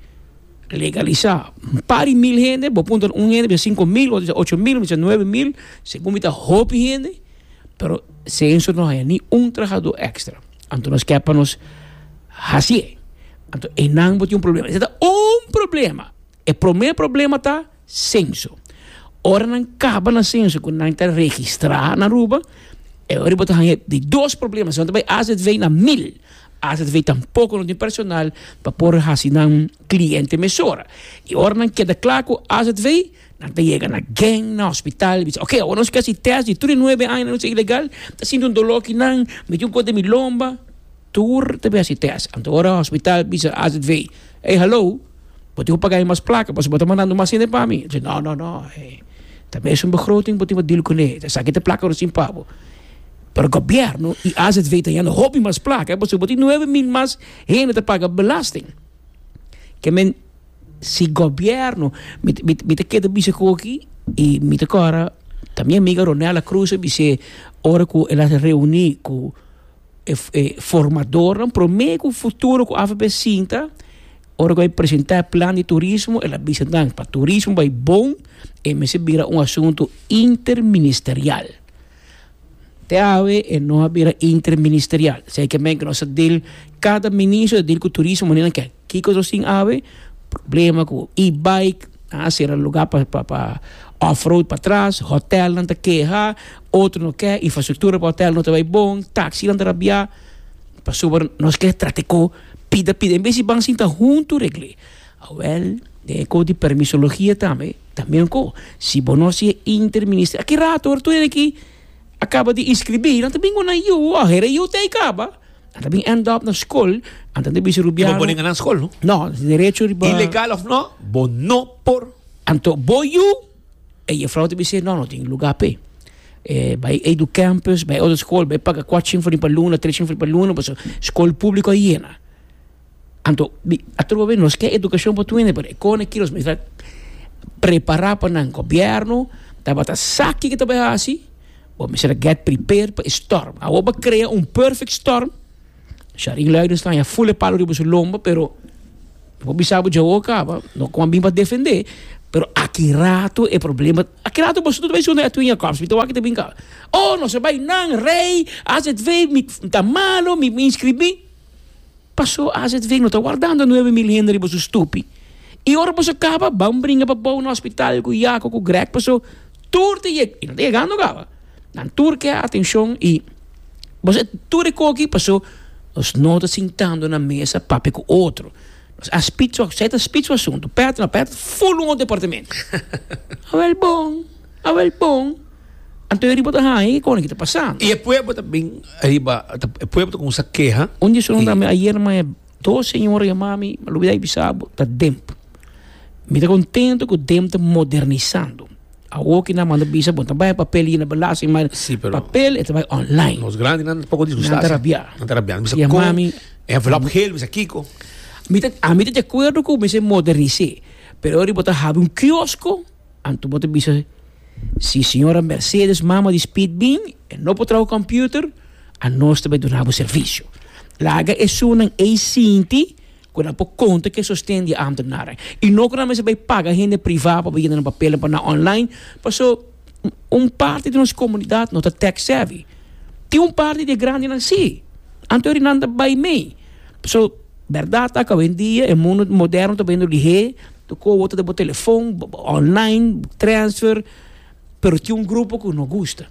legalisa un par di mil hende, bo puntra un hende bisa cinco mil, otro bisa ocho mil, otro bisa nuebe mil, segun mi ta hopi hende, pero Censo no haya ni un trahador extra, anto nos ke pa nos haci'e, anto enan bo tin un problema, ese ta un problema, e prome problema ta. Senso. Ora nan kaba na senso ku nan ta registrá na Aruba, e ora bo ta haña di dos problema, si no ta bai azv na mil. Azv tampoko no tin personal pa por hasi nan kliente mesora. I ora nan keda kla ku azv, nan ta yega na gen, na hospital, bisa oke awor nos ke hasi tèst di tur e nuebe aña nos ta ilegal, ta sinti un doló ki nan, miti un kos den mi lomba, tur ta bin hasi tèst. Anto ora hospital bisa azv, ey halou! Bo tin ku paga e mas plaka pasobra bo ta mandando mas hende pa mi. E ta di, No, no, no. E ta mesun begroting bo tin pa dil kuné. Esaki ta e plaka recién pa bo. Pero gobièrnu i azv ta yanda hopi mas plaka pasobra bo tin nuebe mil mas hende ta paga belasting. Ke men, si gobièrnu, mi, mi ta keda bisa ku aki i mi ta kòrda ta mi amiga Ronela Cruz a bis'é ora ku el a reuní ku e formadornan promé ku futuro ku avb sinta ora ku bai presentá e plan di turismo el a bisa nan pa turismo bai bon e mester bira un asuntu interministerial te awe e no a bira interministerial esei ke men ke nos ta dil kada ministro ta dil ku turismo manera nan ke kiko nos tin awe problema ku e-bike A sera lugá pa off road patras, hotèlnan ta keha, otro no ke, infrastruktura pa hotèl no ta bai bon, taksinan ta rabiá. Pasobra nos ke tratiko pida pida, en bes di ban sinta huntu regl'é. Awèl, den e kos di permisologia tambe ta mihó. Si bo no hasi e interminister, a ke rato ora tur hende aki a kaba di inskribí nan ta bini ku nan yu, a hera yu tei kaba. Nan ta bin end up na skol, nan ta bisa Rubiano. Bo bonen anan skol, no? No, derecho riba. Ilegal of no, bo no por. Anto bo yu, e jefrouw ta bisa, no, no tin lugar pe. Eh, bai Edu Campus, bai otro skol, bai paga kwat chin for riba luna, tres chin for riba luna, paso skol publiko a yena. Anto di atrobe nos ke edukashon por tuene pero e kone kilos mi ta prepara pa nan gobièrnu tabata sa kiko ta bai hasi bo mester a gèt pripare pa e stòrm awor bo a krea un pèfèk stòrm shari lei di stanja ful e palo riba su lomba pero mi por bisa bo djawo a kaba no kua bini pa defende pero aki rato e problema aki rato boso ta bai sunde Edwin Jacobs mi ta wak e ta bini kaba oh nos a bai nan rei aswv mi ta malo mi inscribi Paso azv no ta wardando nuebe mil hende riba su stupi y ora boso caba ban bringa pa bou na hospital cu Jaco cu Greg paso tur ta yeg y nan ta yegando caba nan tur ke atencion y boso e tur e coki paso nos no ta sintando na mesa papia cu otro nos a spit su asai ta spit su asunto pet no pet ful un otro departamento awel bon awel bon. Anto e riba ta haña i kòne ki ta pasá. I e pueblo ta bin riba, e pueblo ta kuminsá keha. Un di su nan ta mi, Ayer maya dos señora yamá mi, mi a lubidá di bisa bo, ta Demp. Mi ta kontentu ku Demp ta modernisando. Awor ki nan manda bisa bo, bo ta bai papel yena balasa i mai papel, e ta bai online. Nos grandinan ta poko disgustá. Nan ta rabiá. Nan ta rabiá. Nan bisa kon e envelop hel, bisa kiko. Ami ta di akuerdo ku mester modernis'é, pero ora bo ta hab'é un kiosko. Anto bo ta bisa si señora Mercedes, mama di Speed bin, e no por traha computer, anos ta bai duna bo servicio. Laga esunnan ei sinti cu nan por conta cu e sosten di e ambtenaren y no cu nan mester bai paga hende priva pa bai yena nan papelan pa nan online, paso un parti di nos comunidad no ta tech savvy. Tin un parti di e grandinan si, anto e rinan ta bai mei. Paso berdad ta cu awendia e mundo moderno ta bayiendo lihé. Bo kohe bo ta den bo telefon, online, transfer, pero tin un grupo ku no gusta,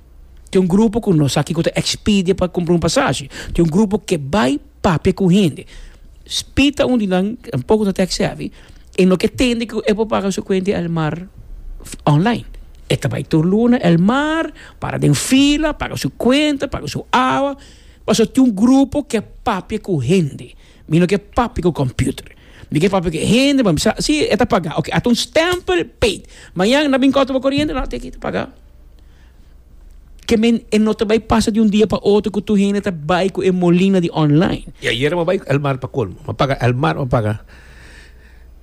tin un grupo ku no sa kiko ta Expedia pa kumpra un pasashi, tin un grupo ke bai papia ku hende. Speed ta un di nan, e un poko ta tech savvy, e no ke tende ku e por paga su kuenta di el mar online, e ta bai tur luna el mar, para den fila, paga su kuenta, paga su awa, pasobra tin un grupo ke papia ku hende. Mi no ke papia ku computer. Mi ke papia ku hende pa mi sa si e ta paga. Oke, a ta un stempel paid. Mañan na bin kòrta bo koriente? No, teken ta paga. Ke men e no ta bai pasa di un dia pa otro ku tur hende ta bai ku e molina di online. I ayera mi a bai El Mar pa kolmo. Mi a paga El Mar, mi a paga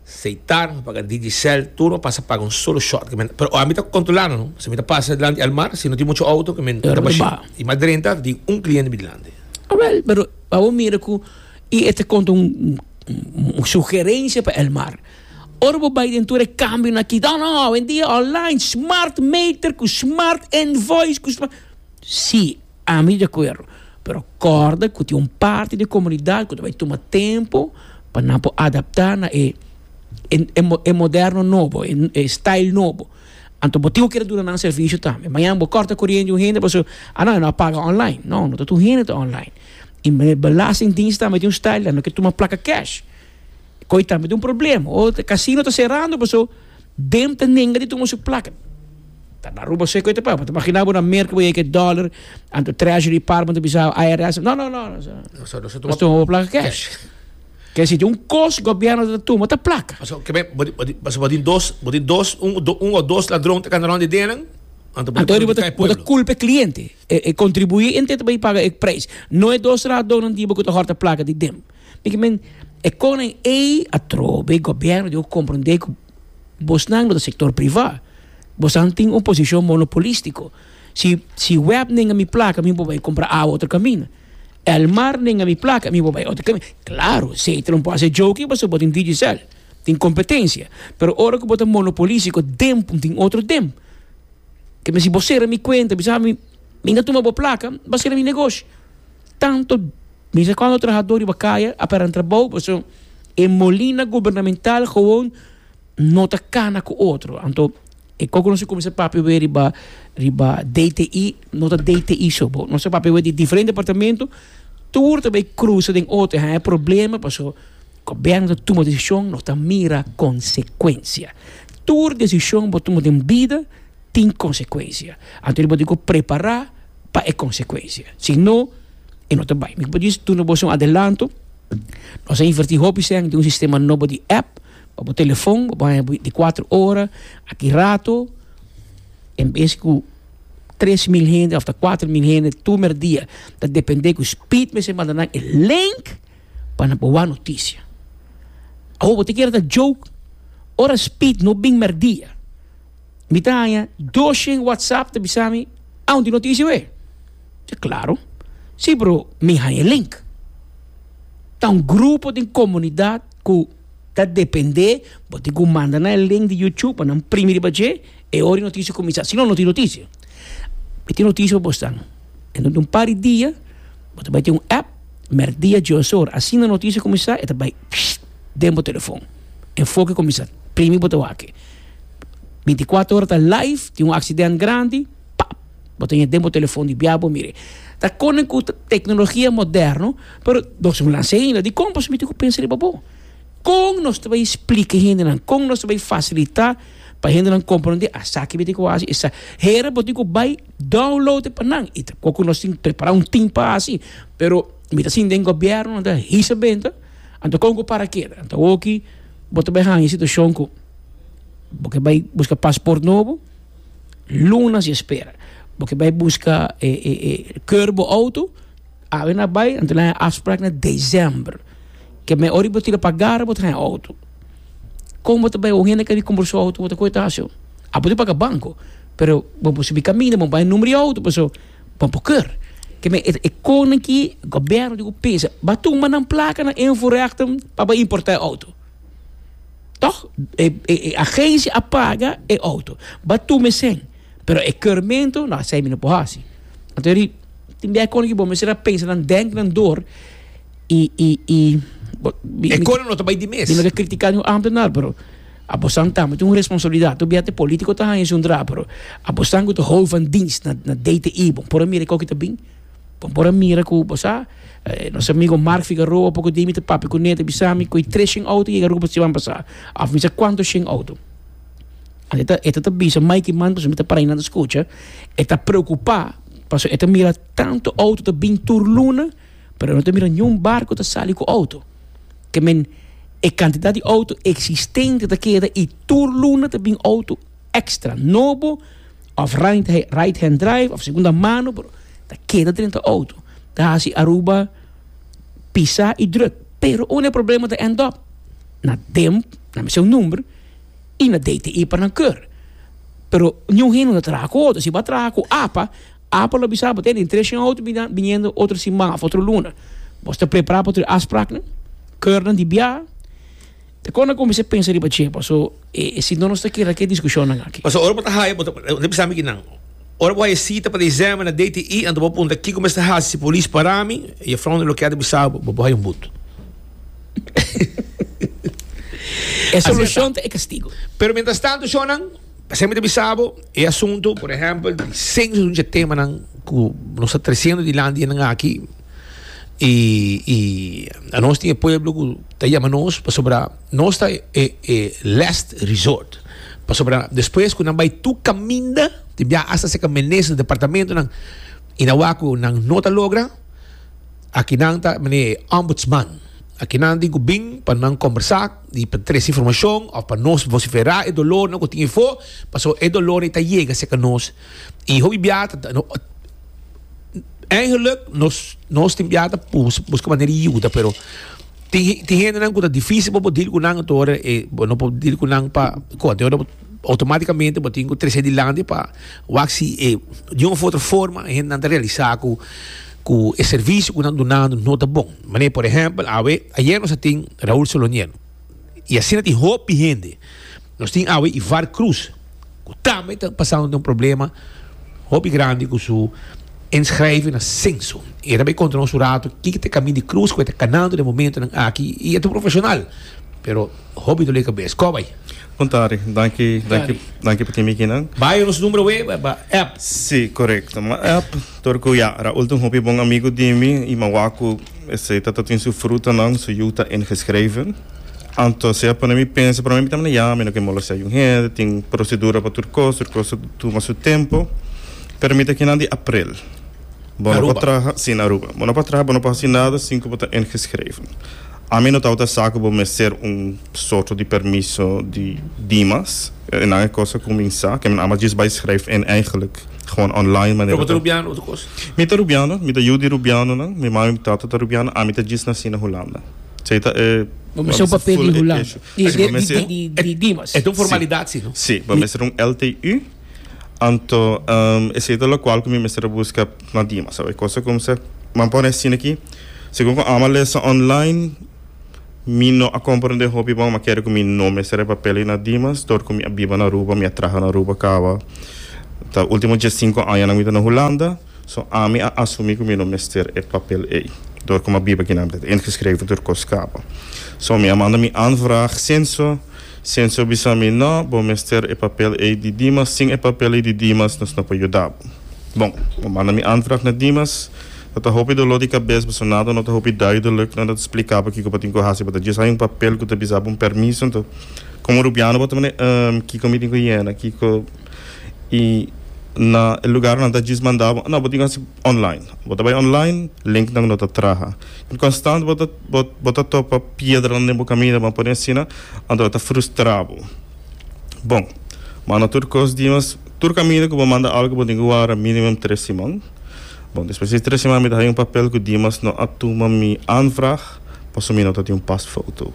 Seitar, mi a paga Digicel, tur mi a pasa paga un solo shot. Pero ora mi ta kontrolando no. Si mi ta pasa dilanti El Mar, si no tin muchu outo, ke men ta mashina. I mi a drenta di un kliente mi dilanti. Awel, pero. Pa bo mira cu y e ta conta un sugerencia pa Elmar. Ora bo bay den tur e cambio na ki, no, hoendia online, smart meter cu smart invoice cu smart. Si, ami di acuerdo. Pero corda cu tin un parti di e comunidad cu ta bay tuma tempo pa nan por adapta na e moderno nobo, e style nobo. Anto bo tin ku kere duna nan servisio tambe. Mañana bo kòrta koriente un hende pasobra a no, e no a paga online. No, no ta tur hende ta online. I belastingdiens tambe tin un style dan, no ke tuma plaka kèsh. Koe tambe ta un problem. O e kasino ta serando pasobra dem ta nenga di tuma su plaka. Ta na Aruba se koe ta pasa. Bo ta imaginá bo na Merke bo yega ku e dòler, anto Treasury Department ta bisa bo, IRS, no, no, no, nos no tuma bo plaka kèsh. Kel siti un kos gobierno ta tuma ta plaka. Paso kibè bo tin bo tin paso bo tin dos bo tin dos un un o dos ladron ta kandròn di den nan anto bo ta Anto bo ta perjudiká e bo ta pueblo. kulpa e kliente. E e kontribuí ente ta bai paga e preis. No e dos ladronnan diba ku ta hòrta plaka di den. Mi ki men e konan ei atrobe e gobierno debe komprondé ku bosnan no ta sektor privá. Bosan tin un posishon monopolistiko. Si si wèpnen a mi plaka mi no por bai kompra awa otro kaminda. Elmar nenga mi plaka mi bo bai otro caminda claro sey talo bo hace joki pasobra bo tin digicel tin competencia pero ora cu bo ta monopolisico den tin otro den ke mester bo cera mi cuenta bisa mi mi na tuma bo plaka mi ba cera mi negoshi tanto bisa cuanto trahador riba caya a paran trabou pasobra e molina gubernamental gewoon no ta cana cu otro, anto e coco nos a cuminsa papia awe riba riba DTI no ta DTI so bo, nos a papia awe di diferente departamento tur ta bay cruza den otro y haya problema pasobra gobierno ta tuma decision no ta mira consecuencia, tur decision bo tuma den bida tin consecuencia anto bo dico prepara pa e consecuencia si no e no ta bay, mi por duna boso un adelanto nos a inverti hopi sey den un sistema nobo di app. pa bo telefon bo por haña beinti kuater ora aki rato en bes ku tres mil hende òf ta kuater mil hende tur mera dia ta depende ku speed mester manda nan e link pa nan por wak notisia awo bo ta kere ta joke ora speed no bin mera dia mi ta haña doshen watsap ta bisa mi aun tin notisia awe mi se klaro si pero mi haña e link ta un grupo den komunidat ku. Ta depende, bo tin cu manda na e link di YouTube pa nan primi riba dje, e ora e noticia cuminsa, si no no tin noticia. Mi tin noticia pa bo stan, dentro di un par di dia bo ta bay tin un app, merk dia, dje o ora, asina noticia cuminsa e ta bay den bo telefon, enfoke cuminsa, primi bo ta wak, binticuater ora ta live, tin un accident grandi, pap! Bo ta ña den bo telefon di bia bo mire. Ta konen ku teknologia moderno, pero nos lo lansa ainda. Dikon boso miti ku pensa riba bo? Kon nos ta bai splika e hendenan? Kon nos ta bai fasilitá pa hendenan komprondé esaki miti ku bo a hasi? Hera bo tin ku bai download e pa nan. I ta kon ku nos tin ku prepará un tim pa hasi. Pero mi ta sinti den gobierno nan ta hisa benta, anto kon ku para keda? Anto awoki bo ta bai haña e situashon ku bo ke bai buska pasport nobo? Lunas yo spera bo ke bai buska e e e keur bo auto awe na bai anto na haña afsprak na december ke me ora bo tira pa gara bo ta haña auto kon bo ta bai un hende ke a wik kompra su auto bo ta koto haci ho a bo tin paga banco pero bo por sibi kaminda bo bai numero di auto paso bo por keur ke me e konnan ki gobierno tin ku pensa ba tumba nan placa nan invoerrechten pa bai importa e auto. Tòg e e agensia a paga e outo. Ba tu mesen. Pero e keurmentu, no, asei mi no por hasi. Anto ri, tin biaha kono ku bo mester a pensa nan dènt, nan dor, i, i, i, bo, mi, E kono no ta bai di mes. mi no ta kritika niun ámtenar, pero abosan tambe tin un responsabilidat. Tur biaha te polítiko ta haña esun drá, pero abosan ku ta hou van dienst na, na DTI, bo por a mira e kò ku ta bin. Bo por a mira cu, bo sa, nos amigo Mark Figueroa poco di mi ta papia cu ne, ta bisa mi cu e tres shen auto yega Aruba siman pasa, of mi sa cuanto shen auto. E ta, e ta ta bisa Mikey man pasobra mi ta para ayinan ta scucha, e ta preocupa pasobra e ta mira tanto auto ta bin tur luna pero e no ta mira niun barco ta sali cu auto. Ke men, e cantidad di auto existente ta keda y tur luna ta bin auto. extra nobo of right hand drive of segunda mano pero ta keda drenta auto ta hasi Aruba pisa y druk pero un e problema ta end up na dem na mester un number y na DTI pa nan keur pero ni un hende no ta traha cu auto si bo a traha cu apa apa lo bisa bo te den tres shen auto biniendo otro sima of otro luna bo sta prepara pa tur e afspraknan keurnan di bia. Kon a cuminsa pensa riba dje? Paso e sinto nos ta keda ke discusionnan aki. Paso ora bo ta haya, bo ta bisa mi kinan. Ora bo haya cita pa de examen na DTI, anto bo punta kiko mester haci si polis para mi? E juffrouw na lo keda bisa bo, bo haya un but. E solucion ta e castigo. Pero mientras tanto shonnan, p'esei mi ta bisa bo, e asunto, por ehempel, di census un dje temanan cu nos ta treciendo dilanti e nan aki. y y anos tin e pueblo cu ta yama nos pasobra nos ta e e last resort pasobra despues cu nan bay tur caminda tin bia hasta seka minister di departamentonan y nan wak cu nan no ta logra aki nan ta mane e ombudsman aki nan tin cu bin pa nan combersa y pa trece informacion of pa nos vocifera e dolornan cu tin efo pasobra e dolornan e ta yega seka nos y hopi bia ta. Eigenlijk nos nos tin biaha ta pus busca manera di yuda pero tin tin hendenan cu ta dificil pa bo deal cu nan ato hora e bo no por deal cu nan pa con anto hora bo automaticamente bo tin cu trece dilanti pa wak si e di un of otro forma e hendenan ta realisa cu cu e servicio cu nan dunando no ta bon mane por ehempel awe ayer nos a tin Raul Solonier. y asina tin hoop di hende. Nos tin awe Ivar Cruz cu tambe ta pasando den un problema hopi grandi cu su inschrijven na censo. E ta bay contra nos un rato kiko ta e camin di cruz cu e ta canando den momentonan aki y e ta un profesional pero hopi dole cabes. Cor bay? Bon tarde. Danki, danki, danki pa tin mi aki nan. Bay nos numero away pa app. Si, corecto. M'a app torcu ya a ultim hopi bon amigo di mi y m'a wak cu. Esei ta ta tin su frutanan, su yu ta ingeschreven. Anto sea pone mi pensa, prome mi ta manda yama, mi no ke molestea yun hende, tin procedura pa tur cos, tur cos ta tuma su tempo. Pero mi ta kinan di aprel. Bo no por traha, si, na Aruba. Bo no por traha, bo no por haci nada sin cu bo ta ingeschreven. Ami no tabata sa cu bo mester un soto di permiso di dimas. E nan e cos ta cuminsa, ke mi nan a mas djis bai schrijf in, eigenlijk. Gewoon online manera Pero bo ta ta. Rubiano otro cosa? Mi ta Rubiano, mi ta yu di Rubianonan, mi mami mi tata ta Rubiano, ami ta djis naci na Hulanda. So ei ta e. Bo mester un papel di Hulanda. Di di di di Dimas. E ta un formalidad si no? Si, bo mester un LTU, anto esei ta locual cu mi mester a busca na Dimas. Awor e cosa cu mi sa, mi a pone asina aki, segun cu Ama lesa online, Mi no a komprende hopi bon, ma kere ku mi no mester e papel ei na Dimas, dor ku mi a biba na Aruba, mi a traha na Aruba kaba ta último diessinko añanan mi ta na Hulanda, so ami a asumí ku mi no mester e papel ei, dor ku mi a biba kinan, mi ta ingeschreven tur kos kaba. So mi a manda mi aanvraag Censo, Censo bisa mi no, bo mester e papel ei di Dimas, sin e papel ei di Dimas nos no por yuda bo. Bon, bo manda mi aanvraag na Dimas. No ta hopi doló di kabes pasobra nada no ta hopi duidelijk. Nada ta splikaba kiko bo tin ku hasi. Bo ta djis haña un papel ku ta bisaba un permiso. Nto komo rubiano bo ta mane, Ehm, kiko mi tin ku yena? Kiko i na e lugar nan ta djis manda bo? No, bo tin ku hasi online. Bo ta bai online, linknan no ta traha. I konstant bo ta bo ta topa piedranan den bo kaminda, bo a pone asina, anto a ta frustra bo. Bon, manda tur kos dimas. Tur kaminda ku bo manda algu bo tin ku wara minimum tres siman. Bon, despues di tres siman mi ta haña un papel ku Dimas no a tuma mi aanvraag pasobra mi no ta tin un pasfoto.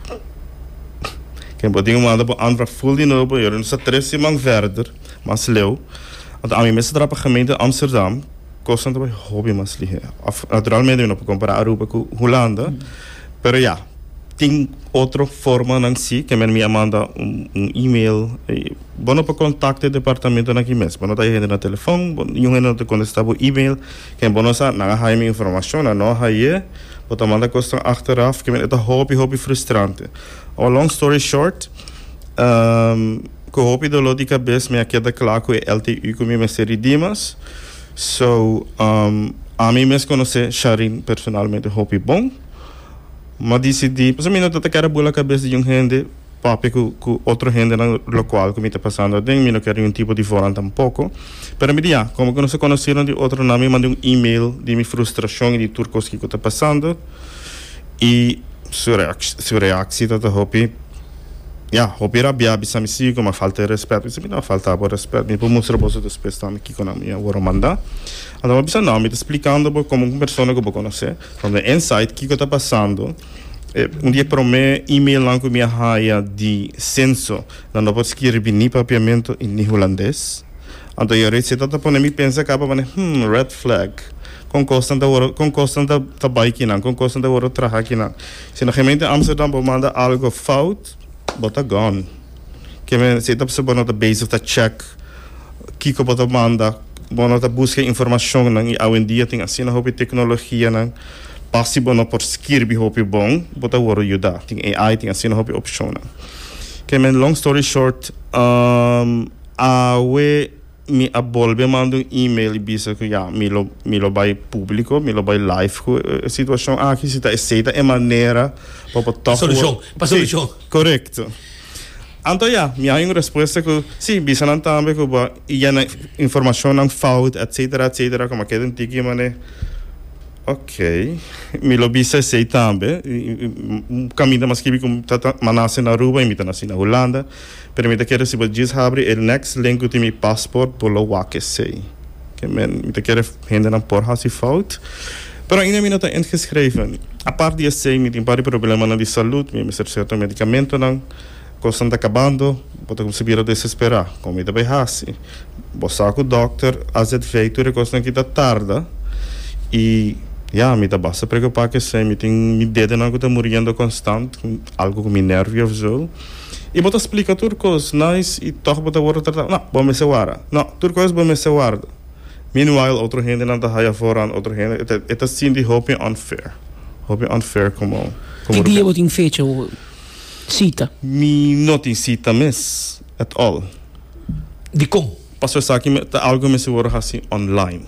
Ken por tin un manda bo aanvraag ful di nobo i ora nos ta tres siman verder, mas leu, anto ami mester traha pa gemeente Amsterdam, kosnan ta bay hopi mas lihe. Af, naturalmente mi no por kompará Aruba ku Hulanda, pero ya, tin otro formanan si, kenmen mi a manda un, un email, Bo no por kontakta e departamentonan aki mes. Bo no ta haña hende na telefòn, bo niun hende no ta kontestá bo email. Ken bo no sa nan a haña mi informashon, nan no a hañ'é. Bo ta manda kosnan achteraf, ke men e ta hopi hopi frustrante. Awa long story short, ku hopi doló di kabes mi a keda kla ku e LTU ku mi mester di Dimas. So, ami mes konosé Sharine personalmente hopi bon, mi a disidí, pasobra mi no ta ta kera bula kabes di niun hende. papia cu cu otro hendenan locual cu mi ta pasando aden mi no ker ningun tipo di vonan tampoco pero mi di ya como cu nos a conocinan di otro nan mi manda un email di mi frustracion y di tur cos kico ta pasando y su reacci su reacci ta ta hopi ya hopi rabia bisa mi si como a falta di respet mi bisa mi no a falta bo respet mi por mustra boso despues tambe kico nan mi a wor a manda anto bo a bisa no mi ta splicando bo como un persona cu bo conoce from the inside kico ta pasando. E un di e promé emailnan ku mi a haya di senso. Nan no por skirbi ni Papiamento i ni Hulandes. Anto e reseta ta pone mi pensa kaba manera, Hm, red flag. Kon kosnan ta wòrdu, kon kosnan ta, ta bai kinan? Kon kosnan ta wòrdu traha kinan? Si na Gemeente Amsterdam bo manda algu fout, bo ta gòn. Ke men si e ta pasó bo no ta bezig ta check kiko bo ta manda, bo no ta buska e informashonnan i awendia tin asina hopi teknologianan pa si bo no por skirbi hopi bon bo ta wòrdu yuda. Tin AI, tin asina hopi opshonnan. Ke men long story short, awe. Mi a bolbe manda un email y bisa cu ya, mi lo mi lo bay publico, mi lo bay live cu e situacion aki, si ta esey ta e manera pa bo tok wor-. Pa solucion, pa solucion. Sí, corecto. Anto ya, mi a hay un respuesta cu, sí, bisa nan tambe cu bo yena informacionnan fout, etcetera, etcetera, como a keda un tiki mane, ok, mi lo bisa esey tambe, y caminda mi a scribi cu mi ta ta, mi a naci na Aruba y mi ta naci na Hulanda, Pero mi ta kere si bo djis habri e next link ku tin mi passport bo lo wak esei. Ke men mi ta kere hendenan por hasi fout. Pero ainda mi no ta ingeschreven. Apart di esei mi tin par di problemanan di salud, mi a mester certo medicamentonan. Kosnan ta kabando, bo ta kumsa bira desespera. Kon mi ta bai hasi? Bo sa ku dokter a zedvei tur e kosnan ki ta tarda i ya mi ta basta preokupa ku esei. Mi tin mi dedonan ku ta muriendo konstant, algu ku mi nervio of zo. I bo ta splika tur kos nice i tòg bo ta wòrdu tratá, nò, bo mester warda, nò, tur kos bo mester warda. Meanwhile otro hendenan ta haya foran, otro hende e ta e ta sinti hopi unfair, hopi unfair komo komo. Ki dia bo tin fecha o sita? Mi no tin sita mes at all. Dikon? Paso esaki ta algo mester worde hasi online.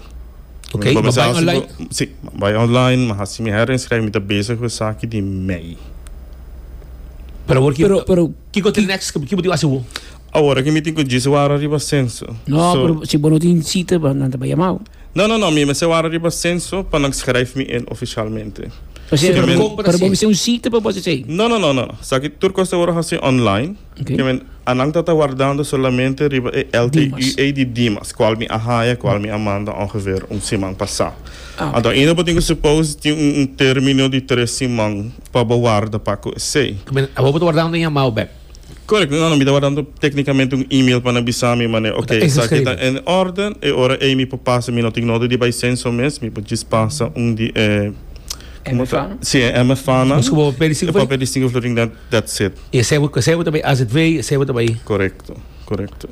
Okay, mi bai online? Si, mi bai online, mi hasi mi herinschrijving, mi ta bezig ku esaki di mei. Pero awor Pero, pero, kiko ta e next step? Ki bo tin ku hasi awor? Awor aki mi tin ku djis wara riba senso. No, so, pero si bo no tin cita, bo nan ta bai yama bo. No, no, no, mi mester wara riba senso pa nan schrijf mi in oficialmente. Pasobra, pero bo mester un cita pa bo hasi esei? No, no, no, no, no. Esaki tur cos ta worde hasi online. Anan ta ta wardando solamente riba e LTUA di Dimas, kual mi a haya, kual mi a manda ongeveer un siman pasá. Anto ainda bo tin ku suppose tin un término di tres siman pa bo warda pa ku esei. Abo bo ta wardando un yamao bèk? Korek, no, no, mi ta wardando téknikamente un email pa nan bisa mi manera, oke, esaki ta en órden, e ora ei mi por pasa, mi no tin nota di bai senso mes, mi por djis pasa un di e, komo ta? MFA nan. Si, e MFA nan. Pasobra bo papia di singu florin. That's it. E sebo e sebo ta bay azv e sebo ta bay. Correcto correcto.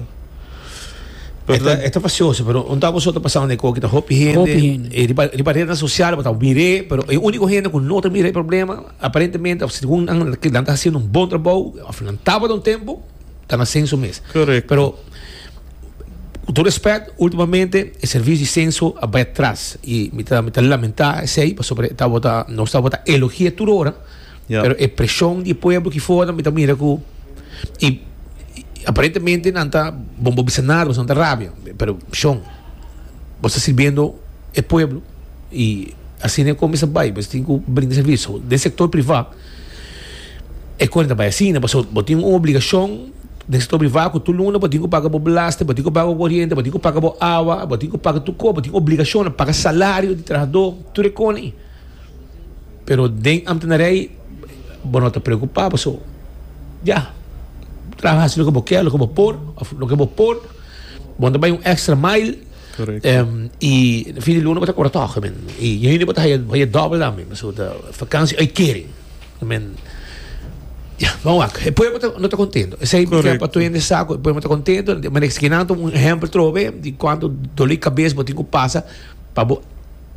E ta e ta facioso pero un taboso ta pasando den coki ta hopi hende. Hopi hende. E riba riba rede social bo ta mire pero e unico hende cu no ta mira e problema aparentemente of segun nan nan ta haciendo un bon trabou of nan tabata un tempo ta na censo mes. Correcto. Pero cu todo respect ultimamente e servicio di censo a bay atras y mi ta mi ta lamenta esey pasobra e tabata nos tabata elogie tur ora. Pero e presion di e pueblo aki for mi ta mira cu y aparentemente nan ta bon bo bisa nada boso nan ta rabia pero shon bo sta sirbiendo e pueblo y asina e cosa mester ta bay bo tin cu brinda servicio den e sector priva e cosa no ta bay asina pasobra bo tin un obligacion den e sector priva cu tur luna bo tin cu paga bo belasting bo tin cu paga bo coriente bo tin cu paga bo awa bo tin cu paga tur cos bo tin obligacion paga salario di trabajador tur e cosa ayi. pero den ambtenarij bo no ta preocupa paso ya traha haci loke bo kier loke bo por of loke bo por bo no ta bay un extra mile y na fin di luna bo ta cora toge men y na hende bo ta haya double tambe paso ta vakantie uitkering men ya bo wak e pueblo no ta contento esey mi kier pa tur hende sa cu e pueblo no ta contento y manera esquina un ejemplo trobe di cuanto doli cabes bo tin cu pasa. Pa bo,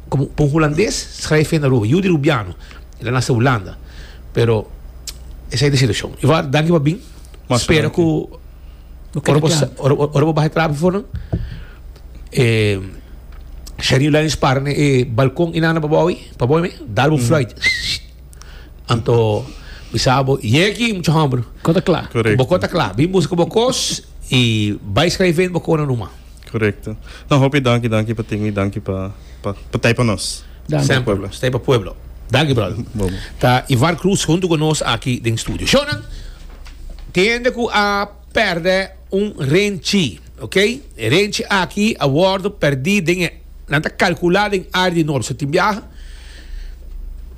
como pa un Hulandes schrijf je na Aruba, yu di Rubiano, el a nace Hulanda, pero esai ta e situacion. Ivar, danki pa bin, spera cu ora bo sa, ora bo baha e trapi for nan, e Sherine Lyons para na e balcon y nana pa bo, pa bo me, dal bo un fluit, anto mi sa bo yega aki mucha homber, bo cor ta cla, bin busca bo cos y bay schrijf bo conan ruma. Korekto. No, hopi danki, danki pa tin i danki pa pa pa tei pa nos. Danki. Stay pa pueblo. Stay pa pueblo. Danki brother. Bon. Ta Ivar Cruz hunto cu nos aki den studio. Shownan, tin hende cu a perde un renchi, ok? E renchi aki a wordo perdi den e, nan ta calcula den area di Norte. So tin biaha,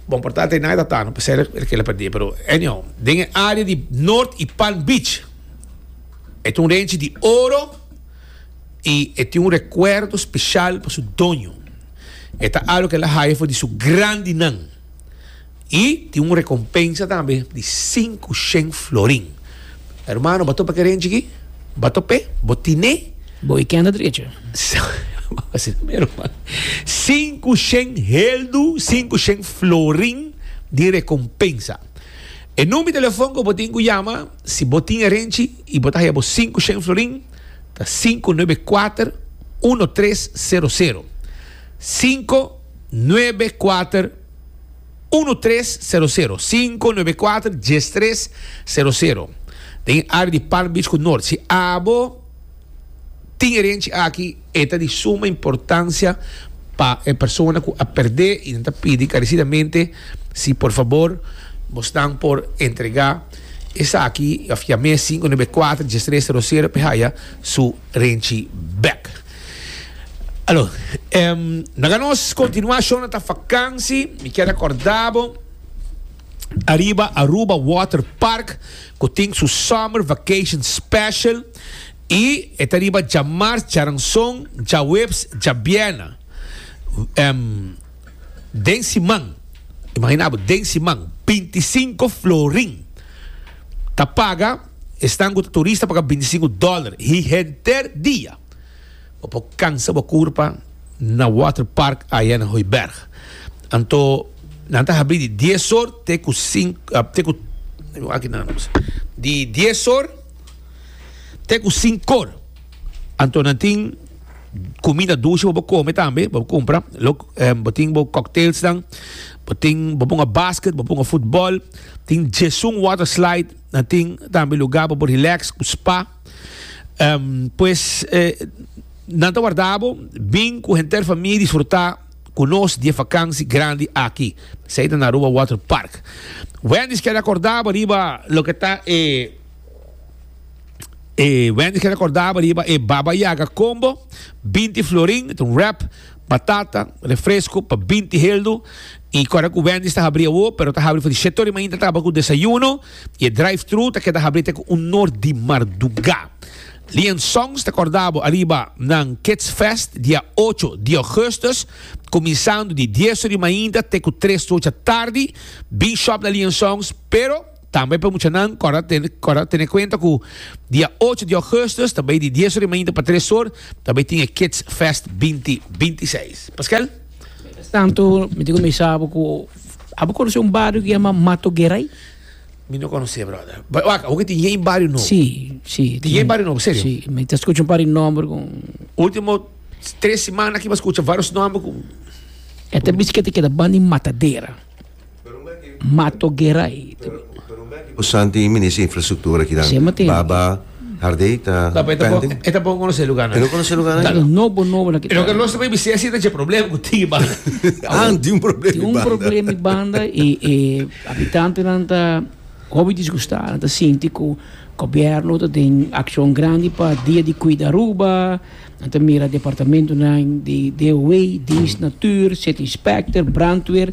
bon por ta tei nan e ta tano pa ser el kila perdi, pero anyhow, den e area di Norte y Palm Beach e ta un renchi di oro, i e tin un rekuerdo speshal pa su doño. E ta algo ku el a haya for di su grandinan. I tin un rekompensa tambe di sinku shen florin. Hermano, bo ta topa keren chikí? Bo ta pe? Bo tine? Bo i kende drechi. Asina mero, man. Sinku shen heldu, sinku shen florin di rekompensa. E number di telefon ku bo tin ku yama. Si bo tin erenchi y bo ta haya bo sinku shen florin, ta sinku nuebe kuater uno tres sero sero. Sinku nuebe kuater uno tres sero sero. Sinku nuebe kuater dies tres sero sero. Den e área di Palm Beach ku Noord. Si abo. Tin herenchi aki e ta di suma importancia pa e persona cu a perde y nan ta pidi carecidamente si por favor bosnan por entrega esaki of ya mes cinco nueve a cuatro dies tres zero zero pe haya su renchi bek. Alo, naga nos continua show nan ta vakansi mi kier recorda bo ariba Aruba Water Park cu tin su summer vacation special. I e ta riba djamars, djaranson, djaweps, djabièrnè. Em, den siman, imaginá bo, den siman, binti i sinku florin ta paga, esnan ku ta turista paga binti i sinku dòler e henter dia. Bo por kansa bo kurpa na waterpark aya na Hooiberg. Anto nan ta habri di dies or te ku sinku, te ku, aki nan, di dies or. te ku sin kor. Anto nan tin comida dulce bo bo come tambe, bo compra. Lo, eh, bo tin bo cocktails dan. Bo tin, bo ponga basket, bo ponga football. Tin Jesun water slide. Nan tin tambe lugar bo bo relax ku spa. Um, pues, eh, nan ta warda bo bin ku henter famia disfruta ku nos di e vakansi grandi aki. Sei ta na Aruba Water Park. Wendy's kere akorda bo riba loke ta e. E Wendy ke recordaba riba e Baba Yaga combo, 20 florin, un wrap, batata, refresco pa 20 heldu. Y corda cu Wendy sta habri awo, pero ta habri for di sheto di mañana taba cu desayuno. Y e drive-thru ta keda habri te cu un nor di marduga. Lian Songs ta cordabo ariba nan Kids Fest dia 8 di augustus, cuminsando di 10 ora di mañana te cu 3 ora tardi. Bin shop na Lian Songs, pero. Tambe pa e muchanan kòrda kòrda tene kuenta ku dia ocho di ògùstùs ta bai di dies ora i mainta pa tres or ta bai tin e Kids Fest binti binti seis. Paskel? Miéntras tantu mi ta kuminsá bo ku abo konosé un bario ku yama Mato Gerai? Mi no konosé bròder. Ba, wak, abo ke tin yei bario nobo? Sí, sí. Tin yei bario nobo, serio? Sí, mi ta skucha un par di nòmber ku. Último tres simana aki mi a skucha vários nòmber ku. E ta bisti ku e ta keda banda di Matadera. Mato Gerai. Ku Santi i Minister di Infrastruktura kinan baba hardei ta pende. E ta bon konosé luganan. E no konosé luganan ain. Tanga nobo nobo nan. Lo ke nos ta baby sesi ta dje problem ku tin i banda. An tin un problem i banda. Tin un problem i banda i e habitantenan ta hopi disgustá. Nan ta sinti ku Gobierno ta den akshon grandi pa dia di kuida Aruba. Nan ta mira departamentunan di DOW, Diens Natuur, City Specter, Brandweer,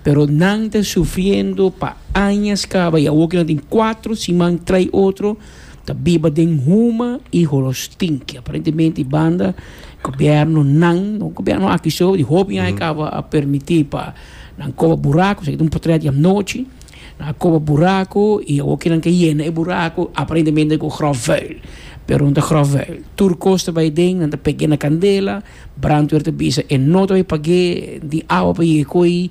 pero nan ta sufriendo pa añas caba y awor cu nan tin cuatro siman trae otro ta biba den huma y holo stinky. Aparentemente y banda gobiernonan, no gobierno aki so, di hopi aña caba a permiti pa nan coba buraco, esaki ta un potret dianochi. A koba buraku i awor kinan ke yena e buraku aparentemente ku grof vuil, pero no ta grof vuil. Tur kos ta bai den, nan ta peg'é na kandela, brandweer ta bisa e no ta bai pag'é di awa pa yega ko'i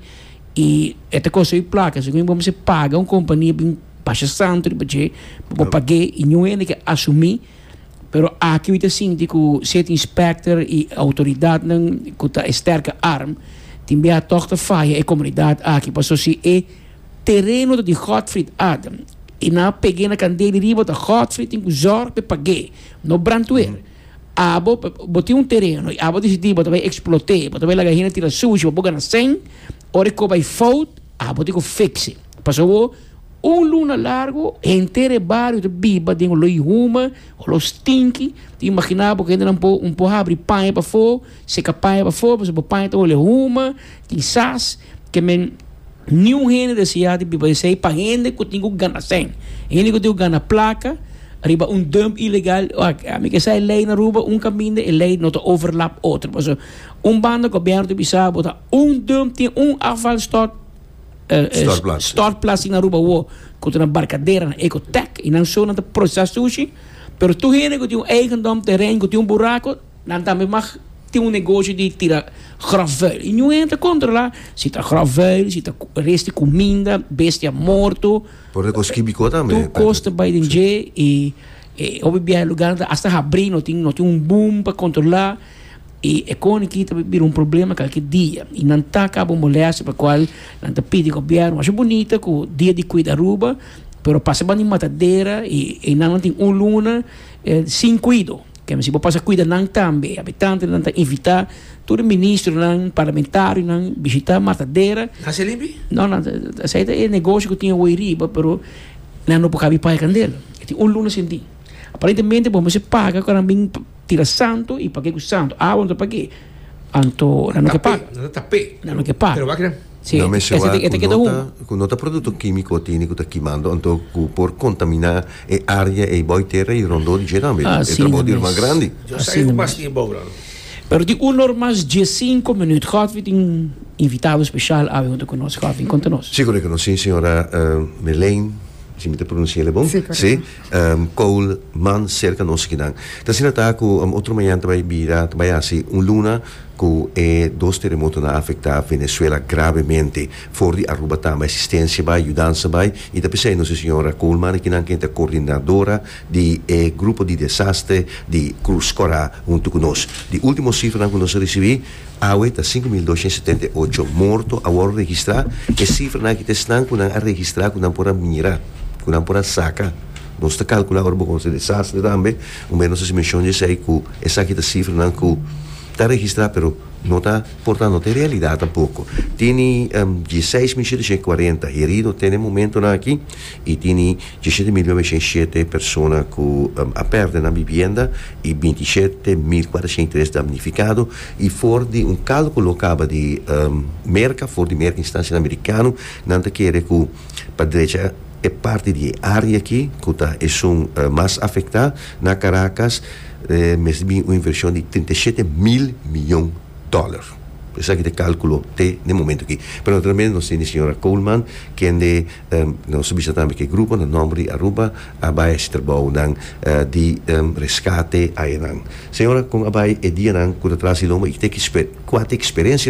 i e ta kosta yu plaka. Asina ku bo mester paga un kompania bin basha santu riba dje pa bo pag'é i niun hende ke asumí, pero aki mi ta sinti ku city inspector i outoridatnan ku ta e sterke arm tin biaha tog ta faya e komunidat aki pasobra si e. Tereno ta di Godfried Adam y nan a peg'e na candea y di riba ta Godfried tin cu zorg p'e pag'e, no brandweer. Abo bo tin un tereno y abo decidi bo ta bay explot'e, bo ta bay laga hende tira sushi pa bo gana cen, ora e co bay fout, abo tin cu fix'e. Pasa awo un luna largo henter e bario ta biba den olo y huma, olo stinky, tin imagina bo cu hendenan bo un po habri paña pafo, seca paña pafo, pasa bo paña ta hole huma, tin sas. Ke men niun hende deseá di biba esei pa hende ku tin ku gana sèn. Hende ku tin ku gana plaka riba un dump ilegal, ami ke sa e lei na Aruba, un kaminda e lei no ta overlap otro. Pasobra un banda gobièrnu ta bisa bo ta un dump, tin un afvalstort, stortplats tin na Aruba awo ku ta na Barcadera, na Ecotec, i nan so nan ta prosesá sushi, pero tur hende ku tin un eigendom, teren, ku tin un buraku, Nan tambe mag tin un negoshi di tira grofvuil y nun'e ta controla si ta grofvuil, si ta res di cuminda, bestia morto, Por ta cos kibico tambe, Patrick. tur cos ta bay den dje y e hopi biaha e lugarnan ta hasta habri, no tin no tin un boom pa controla y e con aki ta bira un problema calke dia y nan ta caba un molestia pa cual nan ta pidi gobierno asha bunita cu dia di cuida Aruba pero pasa banda di matadera y eynan no tin un luna sin cuido. Kende si bo pasa kuida nan tambe, habitantenan nan ta invitá tur e ministronan, parlamentarionan bishitá Matadera. Nan ser limpi? No, nan esei ta e negosio ku tin awor ei riba, pero nan no por kabi paga kandel. E tin un luna sin di. Aparentemente bo mester paga ora nan bin tira santo i pag'ei ku santo. Awa no ta pag'ei. Anto, nan no ke pa. Nan ta pe. Nan no ke pa. Pero wak nan. Si, e te keda hun. Ku no ta produkto kimiko atende ku ta kimando, anto ku por kontamina e área ei bou e tera ei rondó di dje tambe. E trabou di el mas grandi. Yo sa ei mas ki e bou nan. Pero tin un or mas dje sinku minüt. Godfrey tin invitado spesial awe huntu ku nos. Godfrey, konta nos. Si, korektamente, siñora Melaine, si mi ta pronunsia el e bon? Si. Cole, Man cerca nos akinan. Ta asina ta cu otro mañan ta bay bira, ta bay haci un luna cu e dos teremotonan a afecta Venezuela gravemente. For di Aruba tambe asistencia bay, yudansa bay y ta pesey nos e señora Coleman akinan quen ta coordinadora di e grupo di desastre di Cruz Cora hunto cu nos. Di ultimo cifranan cu nos a ricibi. Awe ta sinku mil doshiènt setenta i ocho morto a wòrdu registrá. E sifranan aki ta esnan ku nan a registrá ku nan por a mira, ku nan por a saka. Nos ta kalkulá ora bo konsiguí desastre tambe, un mei nos hasi menshon di esei ku esaki ta sifranan ku ta registrá pero no ta portá, no ta e realidat tampoko. Tene dieseis mil shetecientos kuarenta herido te na e momentunan aki. y tini dieschete mil noventa y siete persona cu a perde nan bibienda y binti shete mil cuatrocientos ochenta y tres damnificado y for di un calculo lo caba di Merca for di Merca instancianan Americano nan ta kere cu pa drecha e parti di e area aki cu ta esun mas afecta na Caracas mester bini un inversion di treinta y siete mil miyon dollar. Esaki ta e kalkulo te den momentu aki. Pero naturalmente nos tin di señora Coleman, kende nos a bisa tambe ku e grupo na nòmber di Aruba a bai a hasi trabounan di reskate ayenan. Señora, kon a bai e dianan ku ta tras di lomba i te ku kua ta e eksperensia?